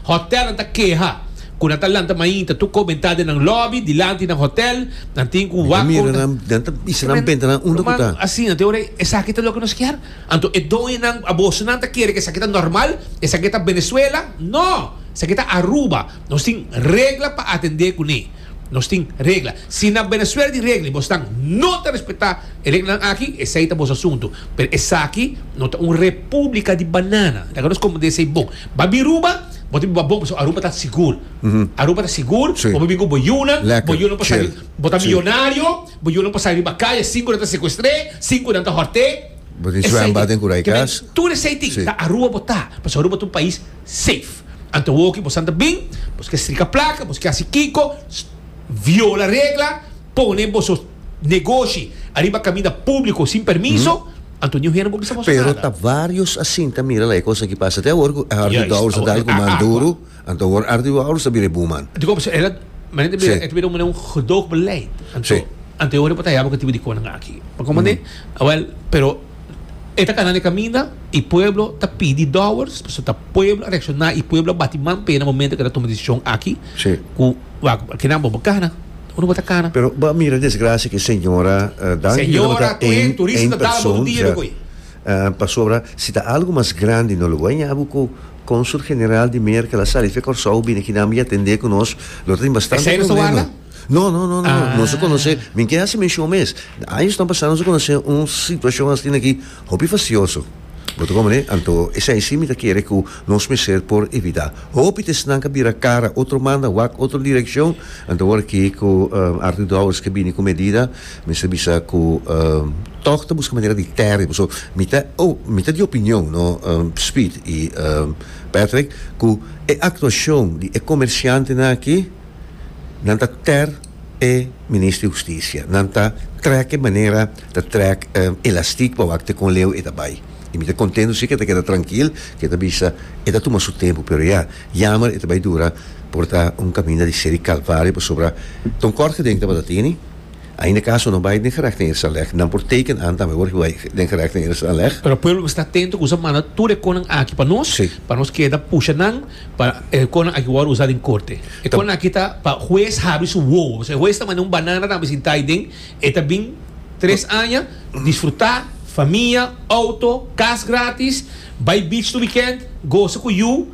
Hotelnan ta keha ku nan ta lanta mainta tur komentá den nan lòbi, dilanti nan hotel. Nan tin ku wak kon ta. Nan ta bisa nan pentenan unda ku ta. Asina ta ora esaki ta loke nos kier. Anto e doñonan abosonan ta kere ku esaki ta normal, esaki ta Venezuela. No! Esaki ta Aruba. Nos tin regla pa atendé kuné. Nos tin regla. Si na Venezuela di regla y bosnan no ta respeta e reglanan aki, esey ta bos asuntu. Pero esaki no ta un republica di banana. Esaki no escombender esey bon. Ba Biruba, bo ta biba bon pasobra Aruba ta sigur. Aruba ta sigur, bo por bin cu bo yunan, bo yunan por sali, bo ta millonario, bo yunan por sali riba calle, cinco nan ta secuestr'e, cinco nan ta hort'e. Esey tin. Tur esey tin, ta Aruba bo ta, pasobra Aruba ta un pais. Safe. Anto wou ki bosan ta bin, bos ke strika plaka, bos ke hasi kiko, viola regla, pone boso negoshi ariba kaminda públiko sin permiso, anto niun hende por bisa boso Pero nada. ta varios asinta, mira la e kos aki pasa te awor ku Ardi Juist, Bouwers a dal awor ku man akua. duru, anto awor Ardi Bouwers ta bira e buurman. Di kòmp e ta menen ta bira, Sí. e ta bira un manera un gedoogbeleid. Anto Sí. anto e ora por ta haya bo ki tipo di konan aki. Pakomande? Awèl, pero E ta kana na e kaminda, e pueblo ta pidi dòwers, pasobra ta pueblo a reakshoná, e pueblo a bati man p'e na momento ku e ta tuma desishon aki, ku kinan bo bo kana, unu bo ta kana. Pero bo a mira desgrasia ku e señora dan, yu no tabata ein ein person, sea, pasobra si ta algu mas grandi no lo wou a haña bo ku Cónsul General di Merkel a sali fe Kòrsou bini aki nan mei atendé ku nos, lo ta tin bastante problema. No, no, no, no, nos a conoce, mi ke haci menshon mes, años nan pasa nos a conoce un situacion astina aki hopi facioso, bo ta comprende, anto esai si mi ta kere cu nos mester por evita hopi t'esnan ca bira cara otro manda wak otro direccion, anto awor aki cu Arthur Dowers ke bini cu medida mester bisa cu toch ta busca manera di terrebo, so mi ta mi ta di opinion no Speed y Patrick cu e actuacion di e comerciantenan aki Nan ta ter e Minister di Husticia. Nan ta trek e manera, ta trek e elastic pa wak te con leu e ta bay. Y mi ta contento si ke ta keda trankil, ke ta bisa e ta tuma su tempo, pero ya, yamer e ta bay dura por ta un caminda di seri calvario pasobra ta un kort gedenk tabatatini, ainda caso no bay den gerechten eerstaanleg, nan por teken aan tambe por bay den gerechten eerstaanleg. Pero pueblo mester ta atento cu sa manda tur e conan aki pa nos, pa nos keda pusha nan. Pa e conan aki wou a usa den corte. E conan aki ta pa huez habri su wowo. Pasobra e huez ta manda un banana tambe sin ta aiden. E ta bin tres aña, disfruta, famia, auto, cas gratis, bay beach tur weekend, goza cu yu.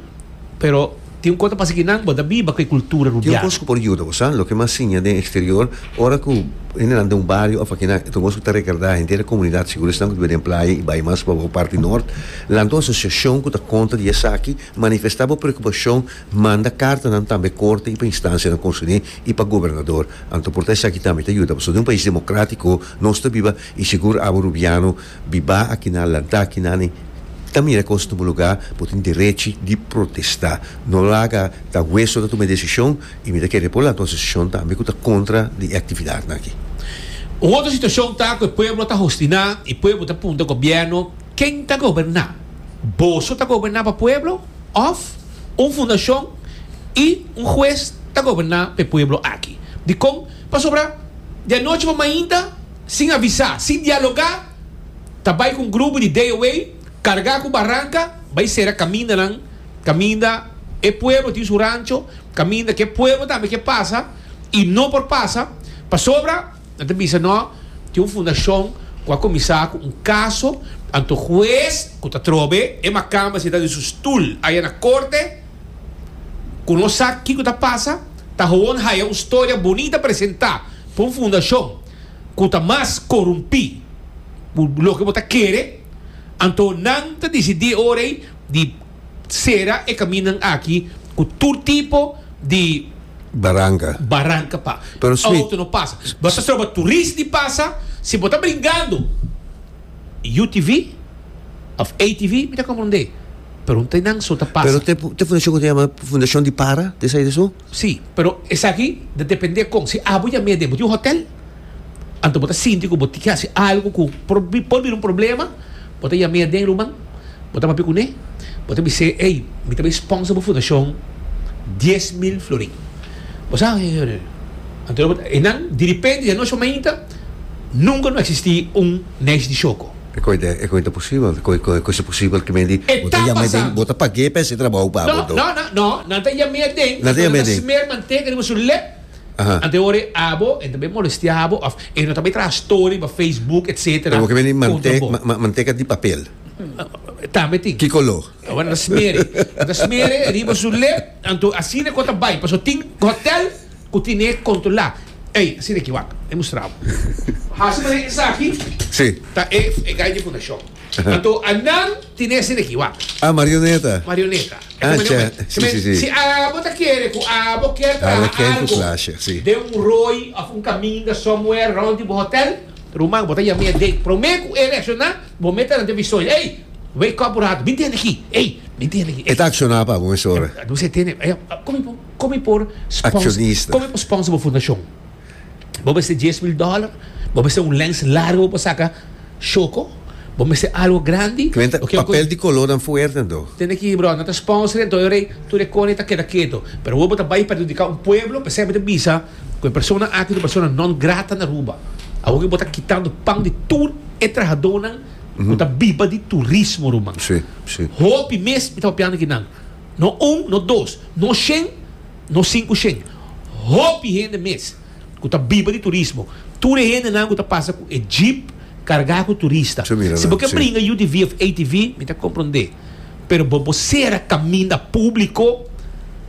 Pero tin un cos ta pasa aki nan, bo ta biba cu e cultura rubiano. Tin un cos cu por yuda bo, sa? Loke mas siña den exterior, ora cu hendenan den un bario of akinan, e ta un cos cu ta recarda henter e comunidad, seguro esnan cu ta biba den playa y bay mas pa wou parti nort, nan ta un asociacion cu ta conta di esaki Manifestá bo preokupashon, manda kartanan tambe korte i pa instansianan konserné i pa gobernador. Anto por ta esaki tambe ta yuda pasobra den un pais demokratiko nos ta biba i sigur abo rubiano bibá akinan, lantá akinan i ta mira e kos tumu lugá, bo tin derechi di protestá. No laga ta hues lo ta tuma e desishon i mi ta kere por lanta un asosiashon tambe ku ta kontra di e aktividatnan aki. Un otro situashon ta ku e pueblo ta hostiná i pueblo ta punta gobièrnu ken ta goberná. Boso ta goberná pa pueblo òf un fundashon i un hues ta goberná pa e pueblo aki? Dikon? Pasobra di anochi pa mainta, sin avisá, sin dialogá, ta bai ku un grupo di DOA kargá ku baranka bai sera kamindanan, kaminda e pueblo tin su rancho, kaminda ku e pueblo tambe ke pasa i no por pasa pasobra. Nan ta bisa no tin un fundashon ku a kuminsá ku un kaso, anto hues ku ta trobe e makamba sentá den su stul aya na korte ku no sa kiko ta pasa, ta howon haya un storia bonita presentá pa un fundashon ku ta mas korumpí ku loke bo ta kere, anto nan ta disidí ora ei di Sera e kaminnan aki ku tur tipo di. Baranka. Baranka pa outo no pasa. Bo ta troba turist di pasa, si bo ta bringando UTV of ATV mi ta komprondé, pero un tren nan so ta pasa. Pero te fundashon ku ta yama fundashon di para, te sa e di asun? Sí, pero esaki ta dependé kon. Si abo yam'é den bo tin un hotèl, anto bo ta sinti ku bo tin ke hasi algu ku por por bira un problema, bo ta yam'é aden ruman, bo ta papia kuné, bo ta bis'é, ey, mi ta bai sponsor bo fundashon dies mil florin. Bo sa, anto e nan, diripente di anochi pa mainta, nunka no eksistí un neish di shoko. E koi ta e koi ta posibel? Koi koi kosa posibel ke mei di E bo ta ta yam'é den pasando. bo ta pag'é pa hasi trabou pa No, bodo? no, no, no, nan ta yam'é aden, Nan ta anto yam'é nan ta aden. smer manteka riba su lep, Aha. anto e ora e abo e ta bai molestea abo of e no ta bai traha story riba Facebook etc. Pero bo ke mei di kontra mante bo. ma- ma- manteka di papel? Tambe tin. Ki koló? Awa nan ta smer'é, nan ta smer'é riba su lep, anto asina ku ta bai, paso tin hotel. ku tine kontrolá ei asina ki wak e mustrau hasi manera esaki ta e gai di fundashon anto nan tine asina ki wak marioneta si abo ta kere ku abo kier traha algu den un roi of un kaminda somewhere rond di bo hotel ruman bo ta yam'e den prome ku e reakshoná bo mete nan den visoña ei wake up un ratu bin tende aki ei bin tende aki e ta akshoná pa bo mesora. Kon mi por sponsor bo fundashon? Bo mester dies mil dòler? Bo mester un lens largo bo por saka shoko? Bo mester algu grandi? Kuenta papel di kolornan fuerte anto. Tende aki bròda, nan ta sponsor anto e rei tur e koni ta keda ketu. Pero awor bo ta bai perjudiká un pueblo, p'esei mi ta bisa ku e persona aki ta un persona non grata na Aruba. Awor ku bo ta kitando pan di tur e trahadónan ku ta biba di turismo ruman. Hopi mes mi ta papiando ku nan. No un, no dos, no shen, no sinku shen. Hopi hende mes ku ta biba di turismo. Tur e hendenan ku ta pasa ku e jeep kargá ku turista. Si bo ke bringa UTV òf ATV, mi ta komprondé. Pero bo por sera kaminda públiko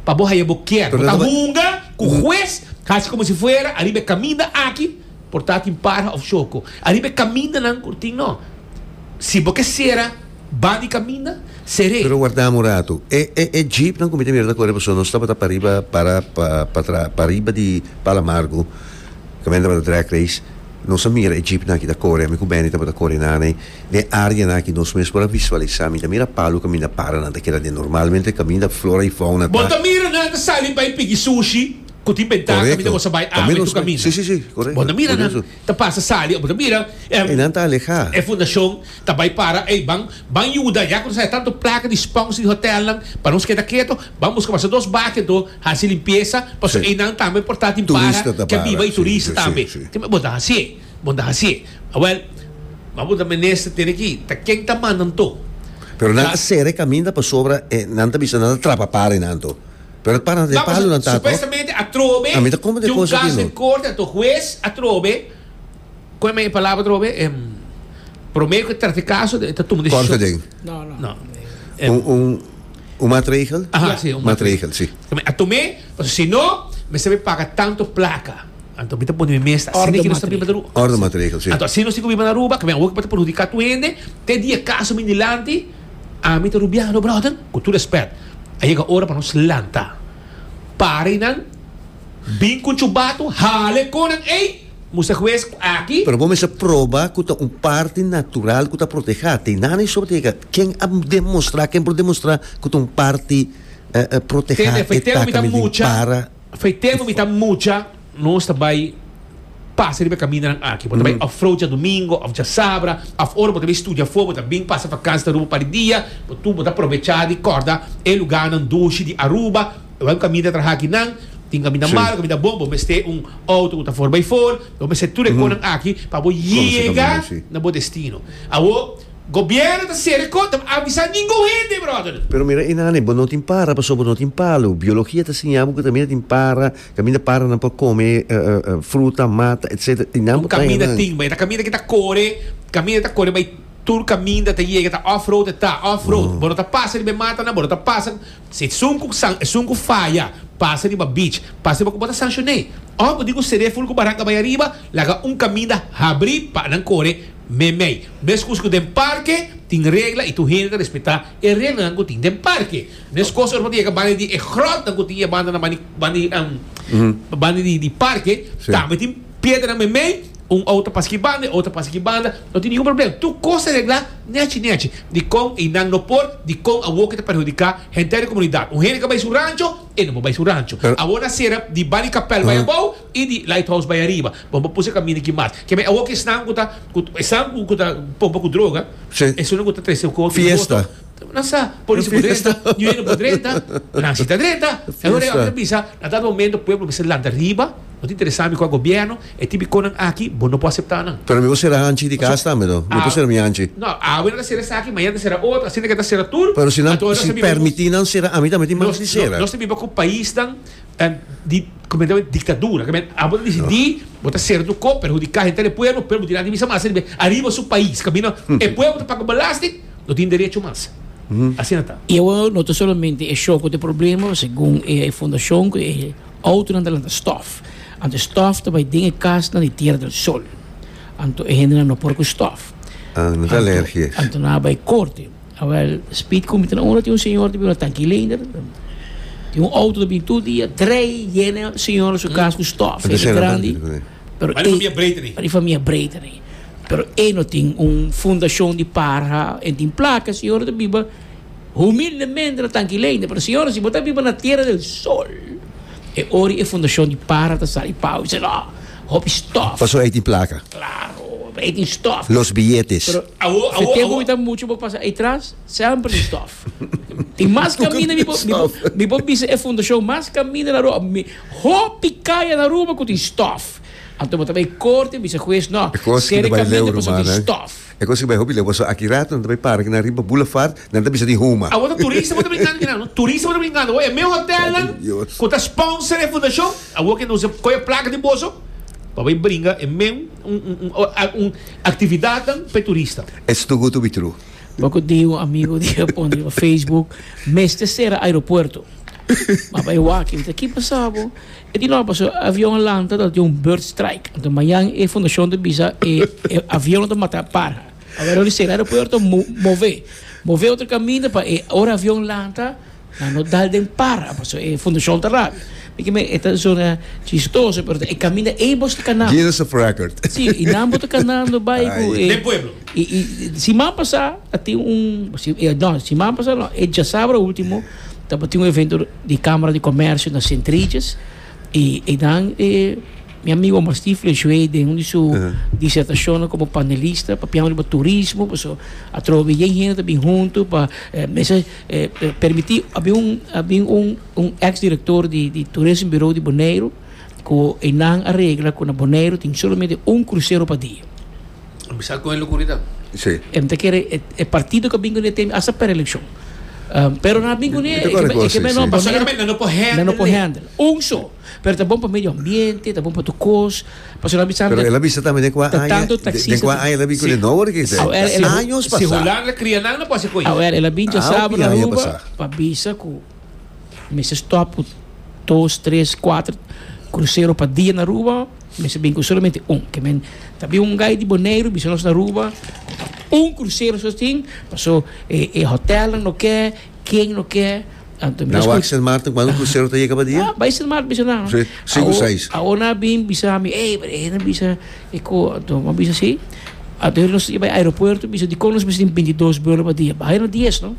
pa bo haya bo kier. Bo ta hunga ku hues hasi komo si fuera ariba e kaminda aki por ta tin para òf shoko. Ariba e kamindanan ku tin no. Si bo ke sera. Ba di kaminda, seré. Pero wardá un ratu. E e e jeepnan ku mi ta mira ta kore paso nos tabata pariba para pa pa pariba di Palo Amargu kamen tabata drag race nos a mira e jeepnan aki ta kore ami ku Benny tabata kore nan ei den areanan aki nos mes por a visualisá mi ta mira palu kaminda para nan ta keda den normalmente kaminda flora i fauna ta Bo ta mira nan ta sali bai piki sushi ku tin bentanan kaminda bo sa bai awe tu kaminda bo ta mira nan. Ta pasa sali abo ta bira e nan ta alehá. E fundashon ta bai para ei ban ban yuda ya ku nos haya tantu plaka di spons di hotèlnan pa nos keda keto ban buska basta dos baki anto hasi limpiesa paso ei nan tambe por ta tin para ke biba i turista tambe kime bo ta hasié bo ta hasié awèl bo a punta minister tene ki ta ken ta manda anto pero nan ta sera e kaminda pasobra e nan ta bisa nan ta trapa para ei nan anto. Pero para de palo nan ta supuestamente atrobe di un caso den corte anto huez atrobe con me palabra atrobe prome cu trata e caso e ta tuma decision un matregel atome pasobra si no me sabi paga tanto placa anto mi ta pone mi mes ta asina kinos ta biba den Aruba anto asina si ta biba den Aruba kaba awor cu mi ta perhudica tuende te dia e caso bin dilanti. Ami ta rubiano brother cu tur respet a yega ora pa nos lanta para y nan bin cu chubato hala e conan ey musta hues cu aki. Pero bo mester proba cu ta un parti natural cu ta proteha te nan y sobre ta yega ken a demostra ken por demostra cu ta un parti proteha e taka mi den para. Fai tempo mi ta mucha. Nos ta bai pasa riba e kamindanan aki. Bo ta bai òfroud djadumingo òf djasabra, òf ora bo ta bai studia afó, bo ta bin pasa vakansi na Aruba un par di dia, bo tur bo ta probechá di kòrda e lugánan dushi di Aruba. Bo bai un kaminda trahá aki nan, tin kaminda malu, kaminda bon, bo mester un outo ku ta for bai for, bo mester tur e konan aki pa bo yega na bo destino. Awo, gobièrnu ta sera e kò, ta avisá ningun hende, bròder. Pero mira, Inani, bo no tin para pasobra bo no tin palu. Biologia ta siña bo ku ta mira tin para. Caminda para nan pa come fruta, mata, etcetera. Y nan pa trae nan. Caminda tin bay. Ta caminda que ta core, caminda ta core bay tur caminda ta yega ta off road e ta off road. Bo no ta pasa riba e mata nan, bo no ta pasa si esun cu san esun cu faya pasa riba beach pasa riba cu bo ta sancione. Of bo di cu cede full cu baranca bay ariba laga un caminda habri pa nan core memey. Mes cos cu den parke tin regla y tur hende ta respeta e reglanan cu tin den parke. Meskos ora papia e ka banda di e gròt ku tin e banda banda di parke tambe tin piedra meimei un outa pasa ki banda e outa pasa ki banda no tin ningun problem tur kos ta regla nèchi nèchi dikon einan no por dikon awor ke ta perhudiká henter di komunidat un hende ke ta bai su rancho e no por bai su rancho awor na sera di banda di kapèl bai abou i di lait house bai ariba bo no por pusu e kaminda aki mas kibè awor ki esnan ku ta esnan ku ta pompa ku droga esuna ku ta trese fiesta. Nan sa, polis a por drenta, New York a por drenta, nan si ta drenta. E hora e hombre a bisa, na ta momento pueblo mester lanta riba, no ta interesa mi cu e gobierno, e tin biconnan aki bo no por acepta nan. Pero mi por cera hanchi di cas tambe no? Mi por cera mi hanchi? No, awe nan ta cera esaki, mañana ta cera otro, asina ke ta cera tur. Pero si nan, si permiti nan cera, ami tambe tin manda di cera. Nos ta biba cu paisnan. ta di completamente dictadura ta mester abo ta decidi bo ta ser tu kop perhudica henter e pueblo pero bo tin aki misa mas riba ariba su pais caminda e pueblo ta paga belasting no tin derecho mas asina ta. Y awor no ta solamente e show cu ta e problema segun e fundacion cu e autonan ta lanta stof anto stof ta bay den e casnan di tierra del sol anto e hendenan no por cu stof anto nan a bay corte. Awel speed ku mi ta na unda tin un señor ta bini un tanki lener tin un auto ta bini tur dia drei yena señor su kas ku stof Enta shela grandi tanki di kuné. pero Mari e famia Breiten ei. mari famia Breiten ei pero e no tin un fundashon di parha e tin plaka señor ta biba humildemente na tanki lener pero señor si bo ta biba na tera del sol e ora e fundashon di parha ta sa di pau mi se no Hopi stof. Paso ey tin placa. Claro, ey tin stof. Los billetes. Pero si tempo mi ta mucho bo pasa ey tras, semper tin stof. Tin mas caminda mi bo mi bo bisa e fundacion mas caminda na Aruba mi hopi caya na Aruba cu tin stof. Anto bo ta bay corte bisa hues no, cera e caminda paso tin stof. E cos cu bay hopi le boso aki rato nan ta bay parke na riba boulevard nan ta bisa di huma. Awor ta turista bo ta brincando aquí nan no turista bo ta brincando awor e me hotel nan cu ta sponsor e fundacion awor ke nos a coge e placa di boso pa bay bringa e men un actividad nan pa e turista. It's too good to be true. Boco di un amigo di a pone riba Facebook mester cera aeropuerto. Ma bay wak mi ta ki pasa bo. E di nor paso e avion a lanta ta tin un bird strike. Anto mañan e fundashon ta bisa e avion ta mata para. Awor lo di sera aeropuerto move. Move otro kaminda pa e ora avion lanta nan no dal den para paso e fundashon ta rabi. Mi ke men e ta zona chistoso pero ta e kaminda ei bo sta kanando. Guinness of record. Si, i nan bo ta kanando bai ku e. Den pueblo. I siman pasa a tin un, no siman pasa no e djasabra ultimo. Tabatin un evento di Kamara di Komersio na Sint Regis i einan e mi amigo Omar Stifler a ju'é den un di su disertashonnan komo panelista papiando riba turismo paso a troba bien hende ta bin huntu pa mester permití a bin un a bin un un ex direktor di di Tourism Bureau di Boneiru. Ku eynan a regla ku na Boneiru tin solamente un krusero pa dia. Lo bisa kon e lokuridad. Si. Em ta kere e partido ku a bin kuné teme hasta per elekshon. Pero nan a bin kuné e ke menos Boneiru. Solamente nan no por handle e. Nan no por handle e. Un so. Pero ta bon pa medio ambiente, ta bon pa tur kos. Pasobra nan a bisa. Pero el a bisa tambe den kua aña. Ta tanto taksista. Den kua aña el a bin kuné. No wordo ke esei. Años pasa. Si hulandes kria nan no por hasi ku ey. Awer el a bin djasaba na Aruba pa bisa ku. Mester stop cu dos, tres, cuater crucero pa dia na Aruba o mester bini cu solamente un? Ke men ta bin un guy di Boneiru bisa nos na Aruba un crucero so tin paso e hotelnan no ke ken no ke anto mi ta escu. Na wak Sint Maarten cuando un crucero ta yega pa dia? Bay Sint Maarten bisa nan. Cinco, seis. Awo nan a bin bisa mi ey brada e na bisa. E cu atoa bo a bisa si? Atoa nos ta bai aeropuerto bisa dicon nos mester tin binti dos buelo pa dia? Baja na dies no,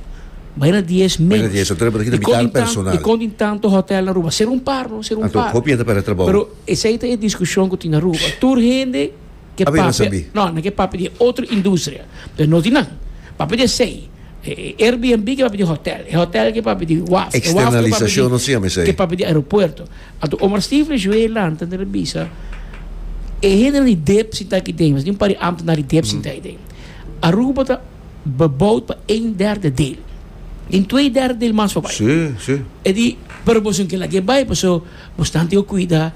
baja na dies menos. Dicon tin tanto, dicon tin tanto hotel na Aruba? Ser un par no, ser un par. Pero esai ta e discusion cu tin na Aruba. Tur hende ke papia no, nan ke papia di e otro industria. Nos di nan, papia di esei. E Airbnb ke papia di hotel, e hotel ke papia di waf, e waf ke papia di aeropuerto. Anto Omar Stephen ju'e lanta ta bisa e hende nan di dep sinta aki den, mas di un par di ambtenar di dep sinta aki den. Aruba ta beboud pa ein derde del, tin twee derde del mas pa bai. E di pero boso no ke laga e bai paso boso tantu yo kuida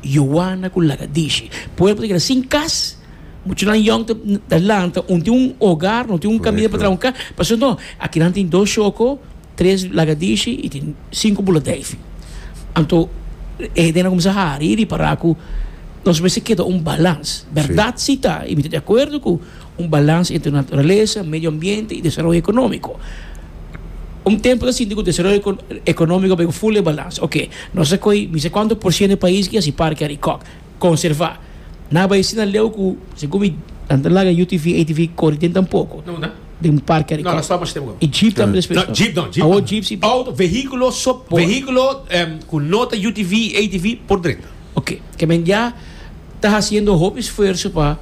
Yowana ku Lagadishi. Pueblo ta keda sin kas. Muchanan yòng ta ta lanta un tin un ogar, no tin un kamina pa traha un ka. Pasobra no, akinan tin dos shoko, tres lagadishi i tin sinku buladeifi. Anto e hende a kuminsá hari i ripará ku nos mester keda un balans. Bèrdat si ta, i mi ta di akuerdo ku un balans entre naturalesa, medio ambiente i desaroyo ekonómiko. Un tempu ta sinti ku desaroyo eko ekonómiko bai ku ful e balans. Oke, nos a koi mi sa kuantu por siento di pais ku yas di parke Arikòk. conserva na bai sina leu cu segun mi nan ta laga UTV ATV cori den tan poco No na. den un parke No, no, stop alsjeblieft gou. y jeep tambe despues No, no jeep no, jeep awo no. jeep si Auto, vehiculo, so, Por. vehiculo em, cu no ta UTV, ATV, por drenta. ok ke men ya ta haciendo hopi esfuerzo pa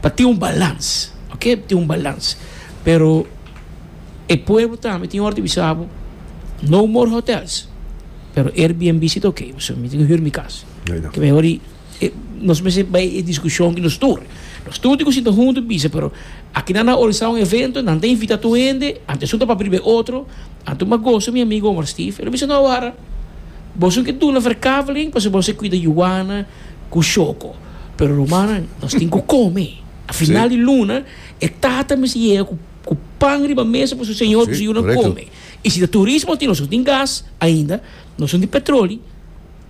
pa tin un balans ok tin un balans pero e pueblo tambe tin ora di bisa bo no more hotels pero Airbnb si ta ok so mi tin huur mi cas. Ta mehor di nos mester bay e discusion di nos tur. Nos tur tin cu sinta hunto y bisa, pero aki nan a organisa un evento, nan ta invita tur hende, antesun ta papia riba e otro. Anto mi a gosa mi amigo Omar Steve. El a bisa, No, wara, boso ke duna verkaveling pasobra boso a cuida Juana cu Shoko, pero rumannan, nos tin cu come. A final di luna e tata mester yega cu cu pan riba mesa pa su señor cu su yunan come. Y si ta turismo tin, nos no tin gas ainda, nos no tin petroli.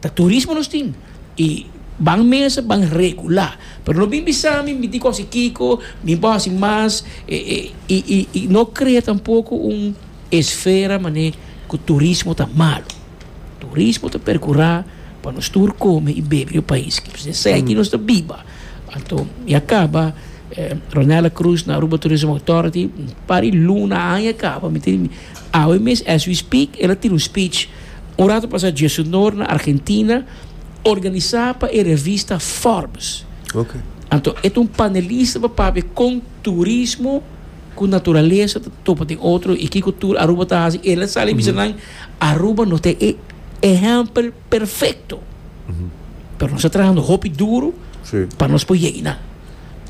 Ta turismo nos tin y ban mesa ban regular pero no bin bisa mi tin cos y kico mi por haci mas y no crea tampoco un esfera mane cu turismo ta malo turismo ta percura pa nos tur come y bebe riba pais pasobra esaki nos ta biba anto mi a caba Ronela Cruz na Aruba Tourism Authority un par y luna aña a caba mi tin. Awe mes as we speak el a tira un speech un rato pasa djesunor na Argentina organisa pa e revista Forbes. Okay. Anto e ta un panelista pa papia kon turismo ku naturalesa ta topa den otro i kiko tur Aruba ta hasi. El a sali bisa nan Aruba no ta e ehempel perfecto pero nos ta trahando hopi duro sí. pa nos por llegi na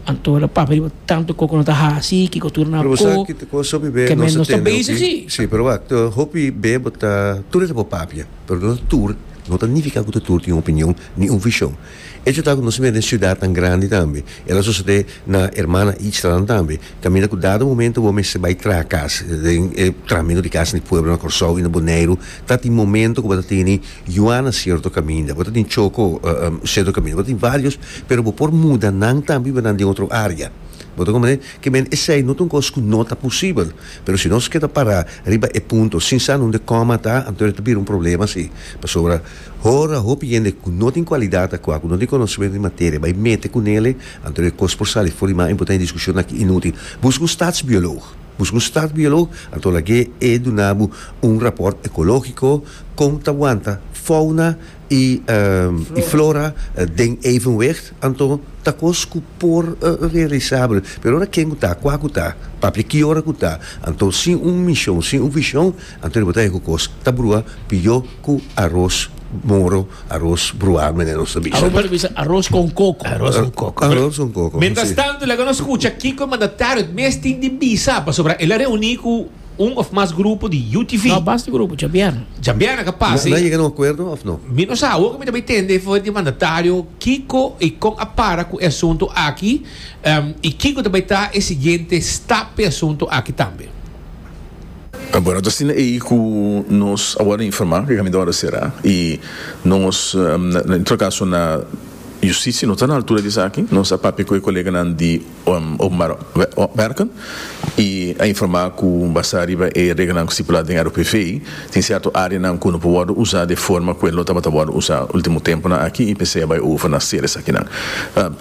anto la papa riba tanto coco no ta hasi kiko tur na pero ko ki ko so bibe que nos ta basic sí sí pero wak to hopi be bota tur ta por papia pero no tur no ta nifica ku tur tin opinion ni un vision E chuta ku nos mira den siudatnan grandi tambe. El a sosodé na hermana ichtanan tambe. Kaminda ku dado momento bo mester bai traha kas. Den e trahamentu di kas di pueblo na Kòrsou i na Boneiru ta tin momento ku bo ta tene yuana sierto kaminda. Bo ta tin choko sierto kaminda. Bo ta tin vários pero bo por muda nan tambe i bo nan den otro área. Bo ta kompañá? Kimen esei no ta un kos ku no ta posibel. Pero si nos keda pará riba e punto sin sa nunde kòma ta, anto e ta bira un problema si. Pasobra. Ora hopi hende ku no tin kualidat akua, ku no tin konosementu di materia, bai mete ku nele, anto e kos por sali for di man i bo ta hende diskushon aki inútil. Buska un statsbiolog. Buska un statsbiolog, anto lag'é e duna bo un rapòrt ekológiko kon ta wanta founa i i flora den evenwicht, anto ta kos ku por realisabel. Pero ora ken ku ta, kua ku ta, papia ki ora ku ta, anto sin un mishon, sin un vishon, Anto di bo ta e ku kos ta brua pió ku aros moro, aros bruá manera nos ta bisa. Aruba ta bisa aros kon koko. Aros kon koko. Aros kon koko. Mientras tanto laga nos skucha kiko e mandatario het mes tin di bisa pasobra el a reuní ku un òf mas grupo di UTV. No, basta grupo, djabièrna. Djabièrna ka pasa. Nan yega na un akuerdo òf no? Mi no sa. Awor ku mi ta bai tende for di mandatario kiko i kon a para ku e asuntu aki i kiko ta bai ta e siguiente stap pa e asuntu aki tambe. Awor ato asina ei ku nos a wòrdu informá ku e kaminda wòrdu será i nos en tur kaso na Yustisia no ta na altura di esaki. Nos a papia ku e koleganan di Openbare Wèrken i a informá ku basá riba e regelnan ku stipulá den ROPV tin sèrto áreanan ku no por wòrdu usá di e forma ku el lo tabata wòrdu usá último tempunan aki i p'esei a bai over na ser esakinan.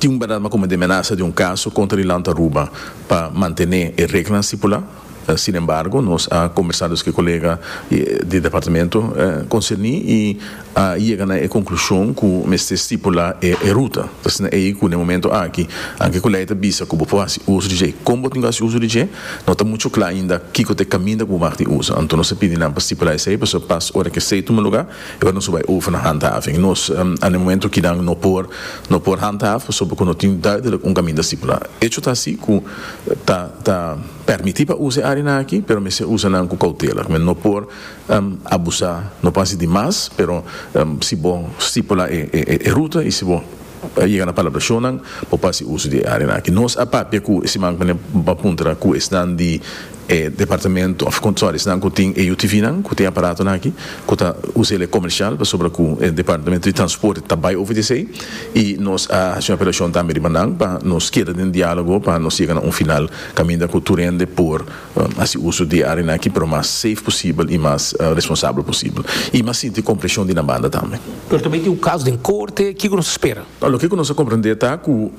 Tin un bèrdat ma komo di e menasa di un kaso kontra di Lanta Aruba pa mantené e regelnan stipulá. Sin embargo, nos a combersa dus cu e colega di departamento concerni y a yega na e conclusion cu mester stipula e ruta. Ta asina ey cu na e momento aki, anke cu ley ta bisa cu bo por haci uso di dje y con bo tin cu haci uso di dje, no ta mucho cla ainda kico ta e caminda cu bo maka tin uso. Anto nos ta pidi nan pa stipula esey pasobra pas ora cu esey tuma lugar, Ora nos a bai over na handhaving, nos a na e momento ki nan no por no por handhaaf pasobra ku no tin duidelijk un kaminda stipulá. Echo ta así ku ta ta pèrmití pa usa e áreanan akí, pero mester usa nan ku koutela. Men no por abusá, no por hasi di mas, pero si bo stipulá e ruta i si bo. Pa yega na palabra shownan bo por hasi uso di e arenan aki. Nos a papia cu simanku nan pa puntra cu esnan di e departamento of sorry esnan cu tin e UTVnan cu tin e aparatonan aki cu ta usa el e comercial pasobra cu e departamento di transporte ta bay over di esey y nos a haci un apelacion tambe riba nan pa nos keda den dialogo pa nos yega na un final caminda cu tur hende por Hasi uso di e arianan aki pero mas safe posibel i mas responsabel posibel. I mas sinti kompreshon di nan banda tambe. Pero tambe tin un kaso den korte. Kiko nos a spera? Loke ku nos a komprendé ta ku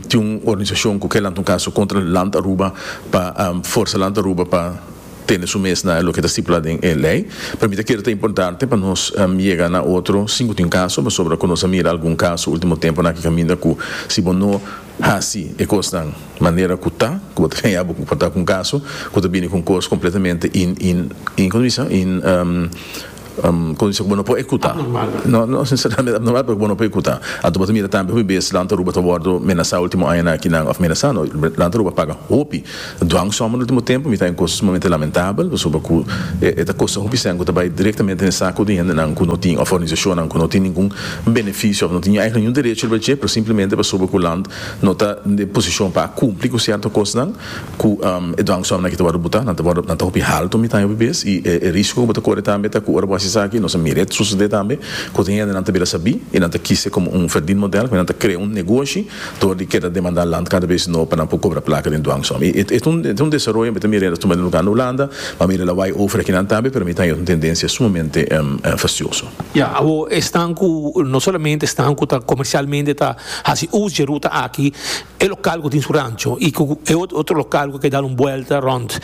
tin un organisashon ku ke lanta un kaso kontra Land Aruba pa forsa Land Aruba pa tene su mes na loke ta stipulá den e lei. Pero mi ta kere ta importante pa nos yega na otro sin ku tin un kaso pasobra ku nos a mira algun kaso ultimo temponan aki kaminda ku si bo no Hasi e kosnan manera ku ta, ku bo ta kaña bo pa ta ku un kaso ku ta bini ku un kos kompletamente in, in, in, komo bisa? In, komo bisa? ku bo no por ekuta. Abnormal. No, no nesesariamente abnormal, pero ku bo no por ekuta. Anto bo ta mira tambe hopi bes Land Aruba ta wòrdu menasá último añanan akinan, òf menasá no, Land Aruba paga hopi. Dwang sòmber ultimo tempu mi ta haña kos sumamente lamentabel pasobra ku e ta kosta hopi sèn ku ta bai direktamente den sak ku di hendenan ku no tin òf organisashonnan ku no tin ningun benefisio òf no tin èigen ningun derecho riba dje pero simplemente pasobra ku land no ta den e posishon pa kumpli ku sierto kosnan ku e dwang sòmbernan aki ta wòrdu butá nan ta wòrdu nan ta hopi haltu mi ta haña hopi bes i e risko ku bo ta kore tambe ta ku ora bo hasi esaki nos a mira e susedé tambe ku tin hendenan ta bira sabí i nan ta kise komo un ferdin modèl ku nan ta krea un negoshi Dor di keda demandá land kada bes no pa nan por kobra plaka den duan som. I e ta un desaroyo mi ta mira el a tuma den luga na Hulanda, ma mi mira el a wai over akinan tambe, pero mi ta haña un tendensia sumamente fastioso. Ya, awo esnan ku no solamente esnan ku ta komersialmente ta hasi us dje ruta aki, e lokal ku tin su rancho i ku e otro lokal ku keda un buelta rònt,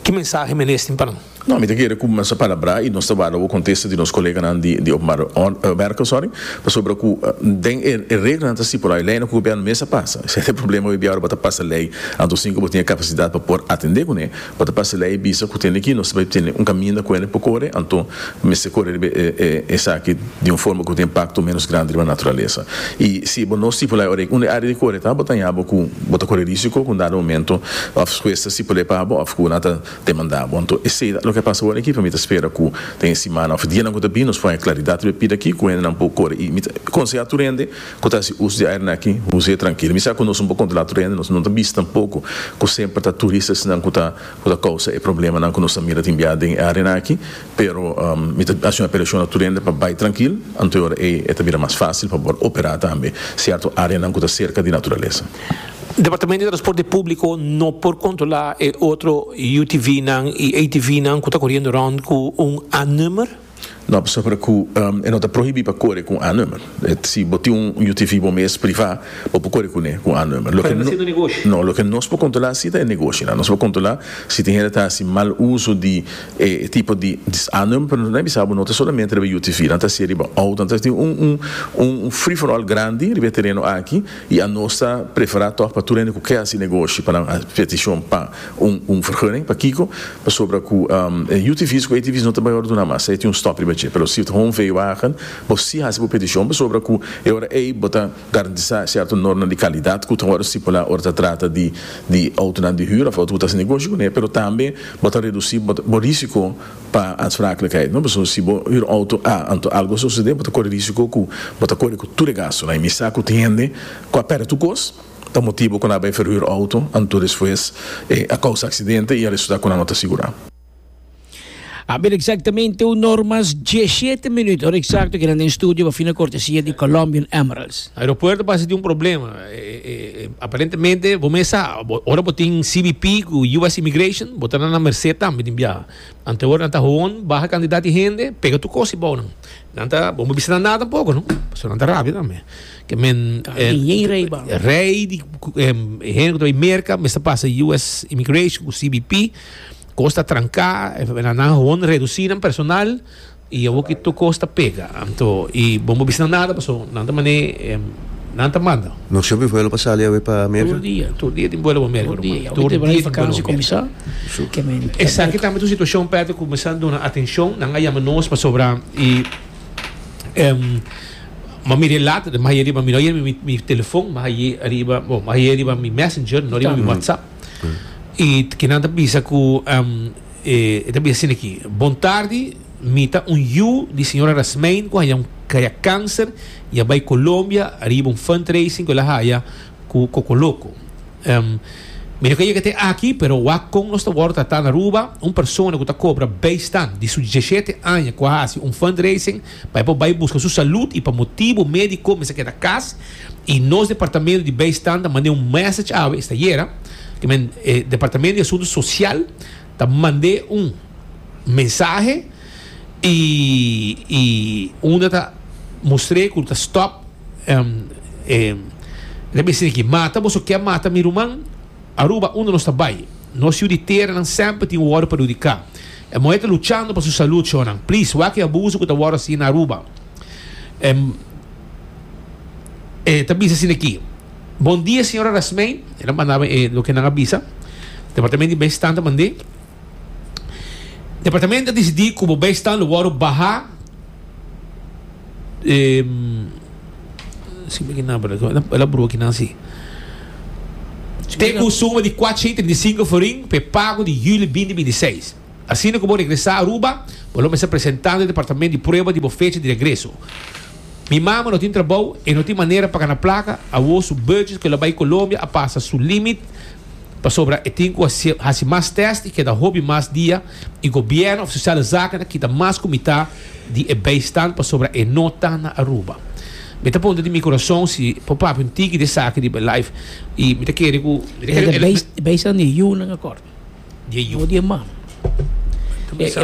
ki mensahe mi a nestin pa nan? No, mi ta kere ku bo mester palabrá i nos ta warda bo kontesta di nos koleganan di openbare mèrkl, pasobra ku den e reglanan ta stipulá e leinan ku gobièrnu mes a pasa. Esei ta e problema hoy dia, ora bo ta pasa lei, anto sin ku bo tin e kapasidat pa por atendé kuné, bo ta pasa lei bisa ku tin liki nos ta bai tene un kaminda ku ene por kore, anto bo mester kore riba e esaki di un forma ku ta impakto ménos grandi riba naturalesa. I si bo no stipulá e ora unda e área di kore ta, bo ta haña bo ku bo ta kore rísiko ku un dado momento òf hues ta stipul'é pa bo òf ku nan ta. Te manda bo anto esey ta loke a pasa awor aki pa mi ta spera ku den e simana of e dianan ku ta bini nos por haña klaridat riba e pida aki ku hendenan por kore i mi ta konsehá tur hende ku ta hasi us di aeranan aki huse trankil mi sa ku nos no por kontrolá tur hende nos no ta bisa tampoko ku semper ta turistasnan ku ta kousa e problemanan ku nos ta mira tin bia den e areanan aki Pero mi ta haci un apelacion na tur hende pa bay trankil, anto e ora ey e ta bira mas facil pa por opera tambe cierto areanan cu ta cerca di naturalesa. Departamento di Transporte Publico no por controla e otro UTVnan y ATVnan cu ta coriendo rond cu un A-nummer? No, pasobra cu e no ta prohibi pa core cu un A-nummer. Si bo tin un UTV bo mes, privá, bo por kore kuné ku un a number. Pero no siendo negoshi? No, loke nos por kontrolá si ta e negoshinan. Nos por kontrolá si tin hende ta hasi mal uso di e tipo di a number. Pero nos ta bisá bo no ta solamente riba e UTV, nan ta hasié riba outo. Nan ta tin un un un free for all grandi riba e tereno aki i anos ta preferá tòg pa tur hende ku ke hasi negoshi pa nan petishon pa un un fergunning. Pakiko? Pasobra ku e UTV's ku ATV's no ta bayorduná mas. Esei tin un stòp riba dje. Pero si ta un veiwagen. Bo sí hasi bo petishon pasobra ku e ora ei bo ta garantisá sierto norma di kalidat ku ta wòrdu stipulá ora ta trata di di outonan di hür òf outo ku ta hasi negoshi kuné, pero tambe bo ta redusí bo risiko pa anspraaklikheid, no? Pasobra si bo hür outo a anto algu a sosodé bo ta kore risiko ku bo ta kore ku tur e gastunan i mi sa ku tin hende ku a pèrdè tur kos pa motibu ku nan a bai ferhür outo anto despues a kousa aksidente i a resultá ku nan no ta sigurá. A ber exactamente un or mas diecisiete minuut, or exacto kinan den studio pa fina cortesia di Colombian Emeralds. Aeropuerto pasa tin un problema. E, e, e, aparentemente, bo mes sa, bo- ora bo tin CBP ku US Immigration, bo ta na na merced tambe tin biaha. Ante ora nan ta hon, baha kantidat di hende, pega tur kos di bou nan. Nan ta, bo no bisa nan nada tampoko, no? Pasobra nan ta rabia tambe. Ke men, Ta eh, ninguém rei ba. rei di ku- em, hende ku ta bai merka, mester pasa US Immigration ku CBP. Cos ta tranca, na nan hon reduci nan personal y awo ki tur cos ta pega. Anto y bo no bisa nan nada paso nan ta mane nan ta manda. No siempre vuelo pa sali awe pa America? Tur dia, tur dia tin vuelo pa America, ruman. Tur dia. Tur dia tin vuelo pa America. Tur dia tin vuelo pa America. Awe te bay vakansi cominsá, ke men. Esaki tambe ta un situacion, Patrick, cu mester duna atencion. Nan a yama nos pasobra y m'a mira e lata, mas aye riba, mi no aye riba mi telefon, mas aye riba, bo, mas aye riba mi messenger, no riba mi WhatsApp. Y ki nan ta bisa cu e ta bisa asina aki, Bon tardi, mi ta un yu di señora Rasmein cu haya un kaya cancer y a bay Colombia riba un fundraising cu el a haya cu Cocoloco. Mi no ka yega te aki, pero wak con nos ta wordo tratá na Aruba, un persona cu ta cobra bijstand di su djeshete aña cu a haci un fundraising, Pa e por bai busca su salud y pa motibo medico mester keda cas y nos departamento di bijstand ta mande un message awe esta yera ke men e departamento di asunto social ta mande un mensahe y y unda ta mostr'e cu lo ta stop e lo bisti aki mata boso ke mata mi ruman Aruba unda nos ta bai nos ciu di tera nan semper tin worde perhudica E muhé ta luchando pa su salud sho nan. Please wak e abuso ku ta wòrdu hasi na Aruba. E e ta bisa asina aki. Bon dia señora Rasmei. El a manda mi e loke nan a bisa. Departamento di Bijstand ta mand'é. Departamento a disidí ku bo bijstand lo wòrdu baha. Ten un suma di kuatsha i trinta i sinku florin pa e pago di yuli binti binti i seis. Asina ku bo regresá Aruba, bo lo mester presentando e departamento di prueba di bo fecha di regreso. Mi mama no tin trabou i no tin manera pa kana plaka, awor su budget ku el a bai Colombia a pasa su límit pasobra e tin ku hasi mas tèst i keda hopi mas dia E Gobierno of Sociale Zaken a kita mas ku mitá di e bijstand pasobra e no ta na Aruba. Mi ta punta di mi kurason si por papia un tiki di esaki riba e live i mi ta kere ku mi ta kere ku e bijstand di e yu nan a kòrta, no di e ma.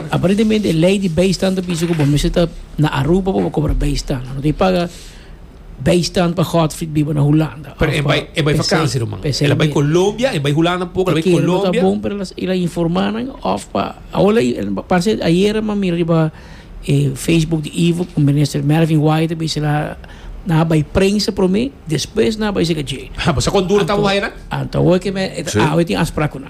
Aparentemente e lei di bijstand ta bisa ku bo mester ta na Aruba pa bo kobra bijstand. Bo no tin paga. Bijstand pa Godfried biba na Hulanda. Pero e bai e bai vakansi ruman. Ela bai Colombia, e bai Hulanda poco, ela bai Colombia. Te bon pero ila informa nan of pa aola parse ayera ma mira riba e Facebook di Ivo con minister Melvin Wyatt be sila na bai prensa prome despues na bai sega je. Ha, sa con duro tamo hay na? Anto hoy que me awe tin aspraku na.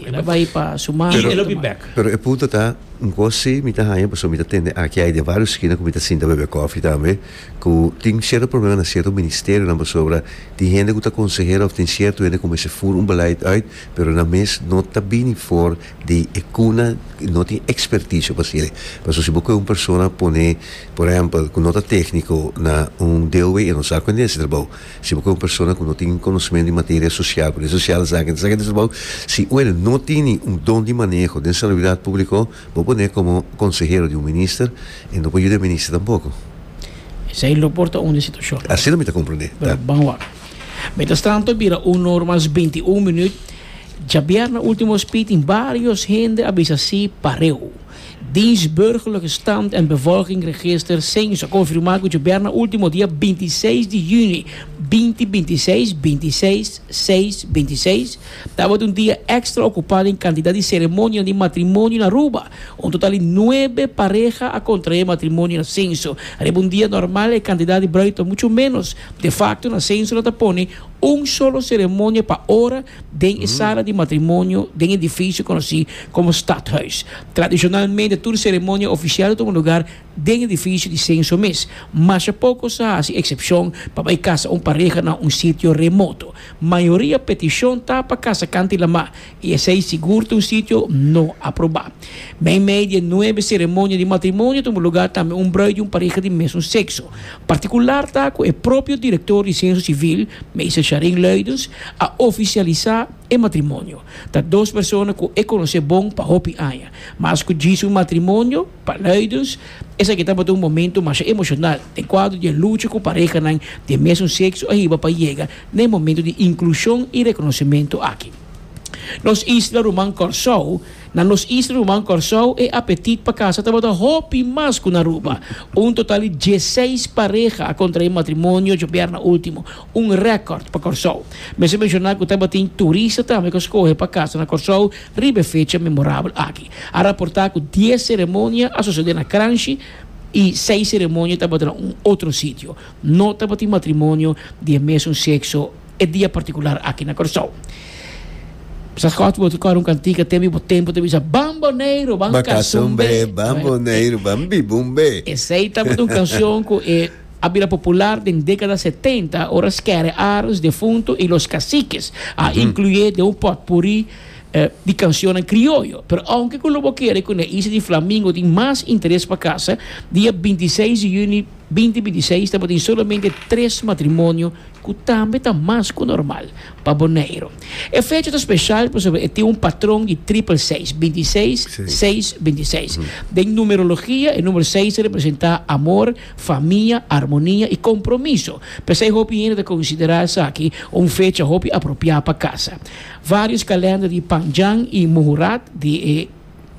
E lo bai pa su mama i e lo bin bek. Pero e punto ta, Nko si mi ta haña pasobra mi ta tende aki ai den vários skina ku mi ta sinta bebe kòfi tambe, ku tin sierto problema na sierto ministerionan pasobra tin hende ku ta konsehero òf tin sierto hende ku mester fur un beleid uit, pero nan mes no ta bini for di e kuna, no tin ekspertisio pa hasié. Pasobra si bo kohe un persona pone, por ehèmpel, ku no ta tékniko na un deelwee, e no sa kuen den e hasi trabou. Si bo ke un persona ku no tin konosementu di materia sosial, poder sosial, esaki, esaki ta trabou. Si un hende no tin ni un don di maneho den saluidat públiko, bo pon'é komo konsehero di un minister, e no por yuda e minister tampoko. Esei lo por ta un di situashon. Asina mi ta komprendé, ta. Bra, ban awor. Mientras tanto, bira un nor mas binti un minüt, djabièrna último spit tin vários hende a bisa sí pareu. Dienst Burgerlijke Stand en Bevolking Register, Cens, a konfirmá ku djober na último dia binti i seis di yüni binti binti i seis, binti i seis, seis, binti i seis, tabata un dia èkstra okupá den kantidat di seremonia di matrimonio na Aruba. Un total di nuebe pareha a kontraé matrimonio na Censo. Riba un dia normal e kantidat di brùi ta muchu ménos. De fakto na Censo nan ta pone Un solo seremonia pa ora den e sala di matrimonio den e difisio konosí komo stadhuis. Tradishonalmente tur seremonia ofisial ta tuma lugar den e difisio di senso mes. Masha poko sa hasi eksepshon pa bai kasa un pareha na un sitio remoto. Mayoria petishon ta pa kasa kantilamá I esei sigur ta un sitio no aprobá. Meimei di e nuebe seremonia di matrimonio ta un lugá tambe un brui di un pareha di mesun sekso. Partikular ta ku e propio direktor di Senso Sivil, Meester Charin Luidens, a ofisialisá e matrimonio. Ta dos persona ku e konosé bon pa hopi aña. Mas ku djis un matrimonio, pa Luidens, esaki tabata un momentu masha emoshonal den kuadro di e lucha ku parehanan di e mesun sekso a hiba pa yega na e momentu di inklushon i rekonosementu aki. Nos isla ruman Kòrsou. Na nos isla ruman Kòrsou e apetit pa kasa tabata hopi mas ku na Aruba. Un total di dieseis pareha a kontraé matrimonio djobièrna último, un rèkòrt pa Kòrsou. Mester menshoná ku tabatin turista tambe ku a skohe pa kasa na Kòrsou riba e fecha memorabel aki. A raportá ku dies seremonia a sosodé na Kranshi i seis seremonia tabata na un otro sitio. No tabatin matrimonio di e mesun sekso. E dia partikular aki na Kòrsou. Sa Scott bo ta kòrda un kantika tempu bo tempu ta bisa Ban Boneiru, ban Kas un be, ban Boneiru, ban biba un be. Esei tabata un kanshon ku e a bira popular den dékada setenta ora Skerre Arends, defuntu, i Los Caciques a inkluy'é den un potpurrí di kanshonnan krioyo. Pero ounke ku lo bo kere ku na Isla di Flamingo tin mas interes pa kasa, dia binti seis di yuni binti binti seis tabatin solamente tres matrimonio ku tambe ta mas ku normal pa Boneiru. E fecha ta speshal pasobra e tin un patron di tripel seis, binti seis, seis, binti seis. Den numerologia, e numero seis ta representá amor, famia, armonia i kompromiso. P'esei hopi hende ta konsiderá esaki un fecha hopi apropiá pa kasa. Vários kalènder di Panjang i Muhurat di e.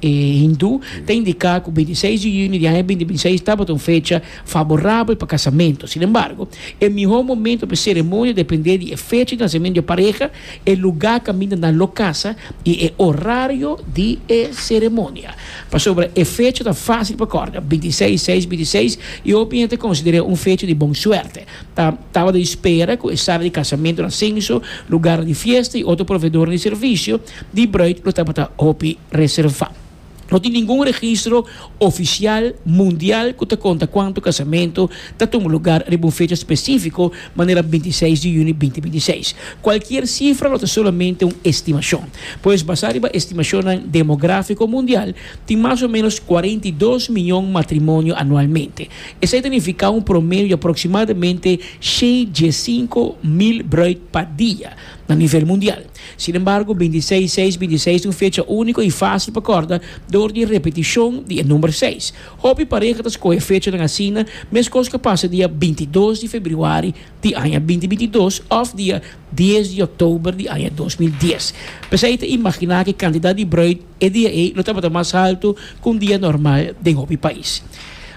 e hindu ta indiká ku binti seis di yuni di aña binti binti seis tabata un fecha faborabel pa kasamentu. Sin embargo, e mihó momentu pa e seremonia dependé di e fecha di nasementu di e pareha, e lugá kaminda na lo kasa i e orario di e seremonia. Pasobra e fecha ta fásil pa kòrda, binti seis, seis, binti seis, i hopi hende ta konsider'é un fecha di bon suerte. Ta tabata di spera ku e sala di kasamentunan, senso, lugarnan di fiesta i otro proveedornan di servisio, di bruid lo tabata hopi reservá. No tin ningun registro ofisial mundial ku ta konta kuantu kasamento ta tuma lugar riba un fecha spesífiko manera binti seis di yuni binti binti seis. Kualkier sifra lo ta solamente un estimashon. Pues basá riba estimashonnan demográfiko mundial, tin mas o ménos kuarenta i dos miñon matrimonio anualmente. Esei ta nifiká un promedio di aproksimadamente shei dje sinku mil bruid pa dia na nivel mundial. Sin embargo, bintiseis, seis, bintiseis ta un fecha úniko i fásil pa kòrda dor di e repetishon di e number seis. Hopi pareha ta skohe fechanan asina, meskos ka pasa dia bintidos di febrüari di aña binti binti dos òf dia dies di òktober di aña dos mil dies. P'esei ta imaginá ku e kantidat di brùit, E dia ei lo tabata mas haltu ku un dia normal den hopi pais.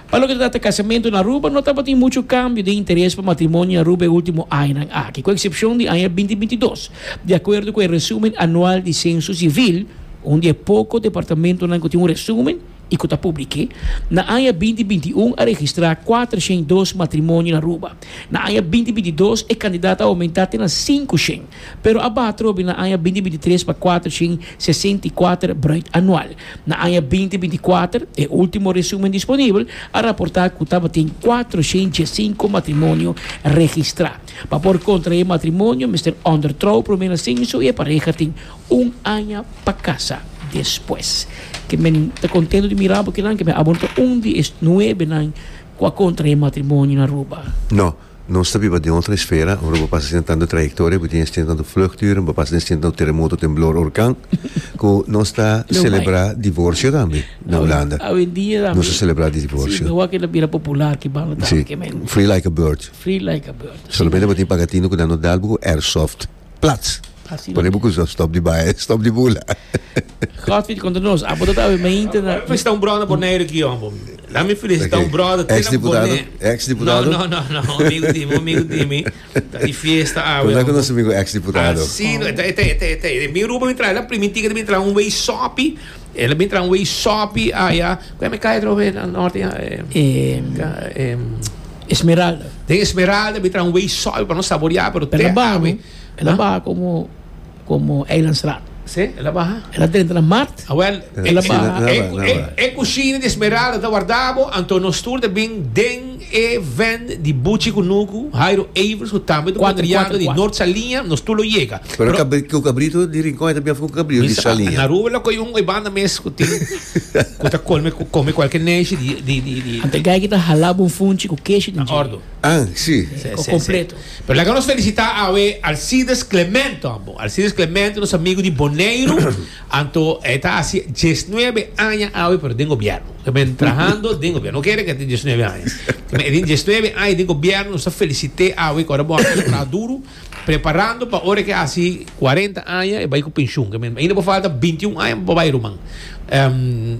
Pa loke ta trata kasamentu na Aruba, no tabatin muchu kambio den interes pa matrimonio na Aruba e último añanan aki, ku eksepshon di aña binti binti dos, di akuerdo ku e resúmen anual di sensu sivil, un di e poko departamentunan ku tin un resúmen i ku ta publik'é. Na aña binti binti un a registrá kuater shen dos matrimonio na Aruba. Na aña binti binti dos e kantidat a oumentá te na sinku shen. Pero a baha trobe na aña binti binti tres pa kuater shin sesenta i kuater bruit anual. Na aña binti binti kuater, e ultimo resumen disponibel a raporta ku tabatin kuater shin dies sinku matrimonio registra. Pa por kontrae matrimonio mester onder trou prome na senso i e pareha tin un aña pa kasa despues. Ke men ta kontento di mira bo kinan ke men abo no ta un di e nuebenan ku a kontrae matrimonio na Aruba. No. Nos ta biba den otro esfera, ora bo pasa den tantu trayectoria, bo tin estin tantu vluchturen, bo pasa den estin tantu teremoto, temblor, hurcan, cu nos ta celebra divorcio tambe na Hulanda. Awendia tambe. Nos ta celebra di divorcio. Si, awor keda bira popular ki banda tambe. Si, free like a bird. Free like a bird. Solamente bo tin pagatino cu nan no dalbo cu airsoft. plats. Así Pone buku zo stop di baie, stop di bula. Godfrey contra nos. Abo dat awe meinte na. Felicita un brother Bonaire aqui, hombo. Laat me felicita okay. un brother. Ex deputado? Ex deputado? No, no, no, no. Amigo Dimi, amigo Dimi. Da di fiesta awe. Como é que nosso amigo ex deputado? Assim, oh. te, te, te, te. Mi rubo me trai la primi ticket me trai um way sopi. El a bin tra un wey sopi aya. Cu mi cay atrobe na norte? Esmeralda. Den Esmeralda bin tra un wey sopi pa no saborear, pero te awe. El a baha como, como Eilandsraad. Sí, el a baha. El a drenta na mart. Awel, el a baha. E cushina di Esmeralda ta warda bo, anto nos tur ta bin den. E ven di buchi ku nuku, Jairo Evers, ku tambe ta patriano di Nort Saliña, nos tur lo yega. Pero e kabrito di Rincon e ta biafa ku kabrio di Saliña. Na Aruba lo koyo un oibanda mes ku tin ku ta kome kome kualke neshi di di di di. Ante gayki ta hala bo un funchi ku keshi den dje. Ah, si. Ko kompleto. Pero laga nos felisitá awe Alcides Clemente tambe. Alcides Clemente nos amigu di Boneiru. Anto e ta haci diesnuebe aña awe pero den gobierno. Ke men trahando den gobierno. No kere ke tin diesnuebe aña. Ke men e tin diesnuebe aña den gobierno nos ta felicite awe ke ora bo a haci traha duro preparando pa ora ke haci cuarenta aña e bai cu pensioen. Ke men ainda bo falta binti un aña pa bo bai ruman.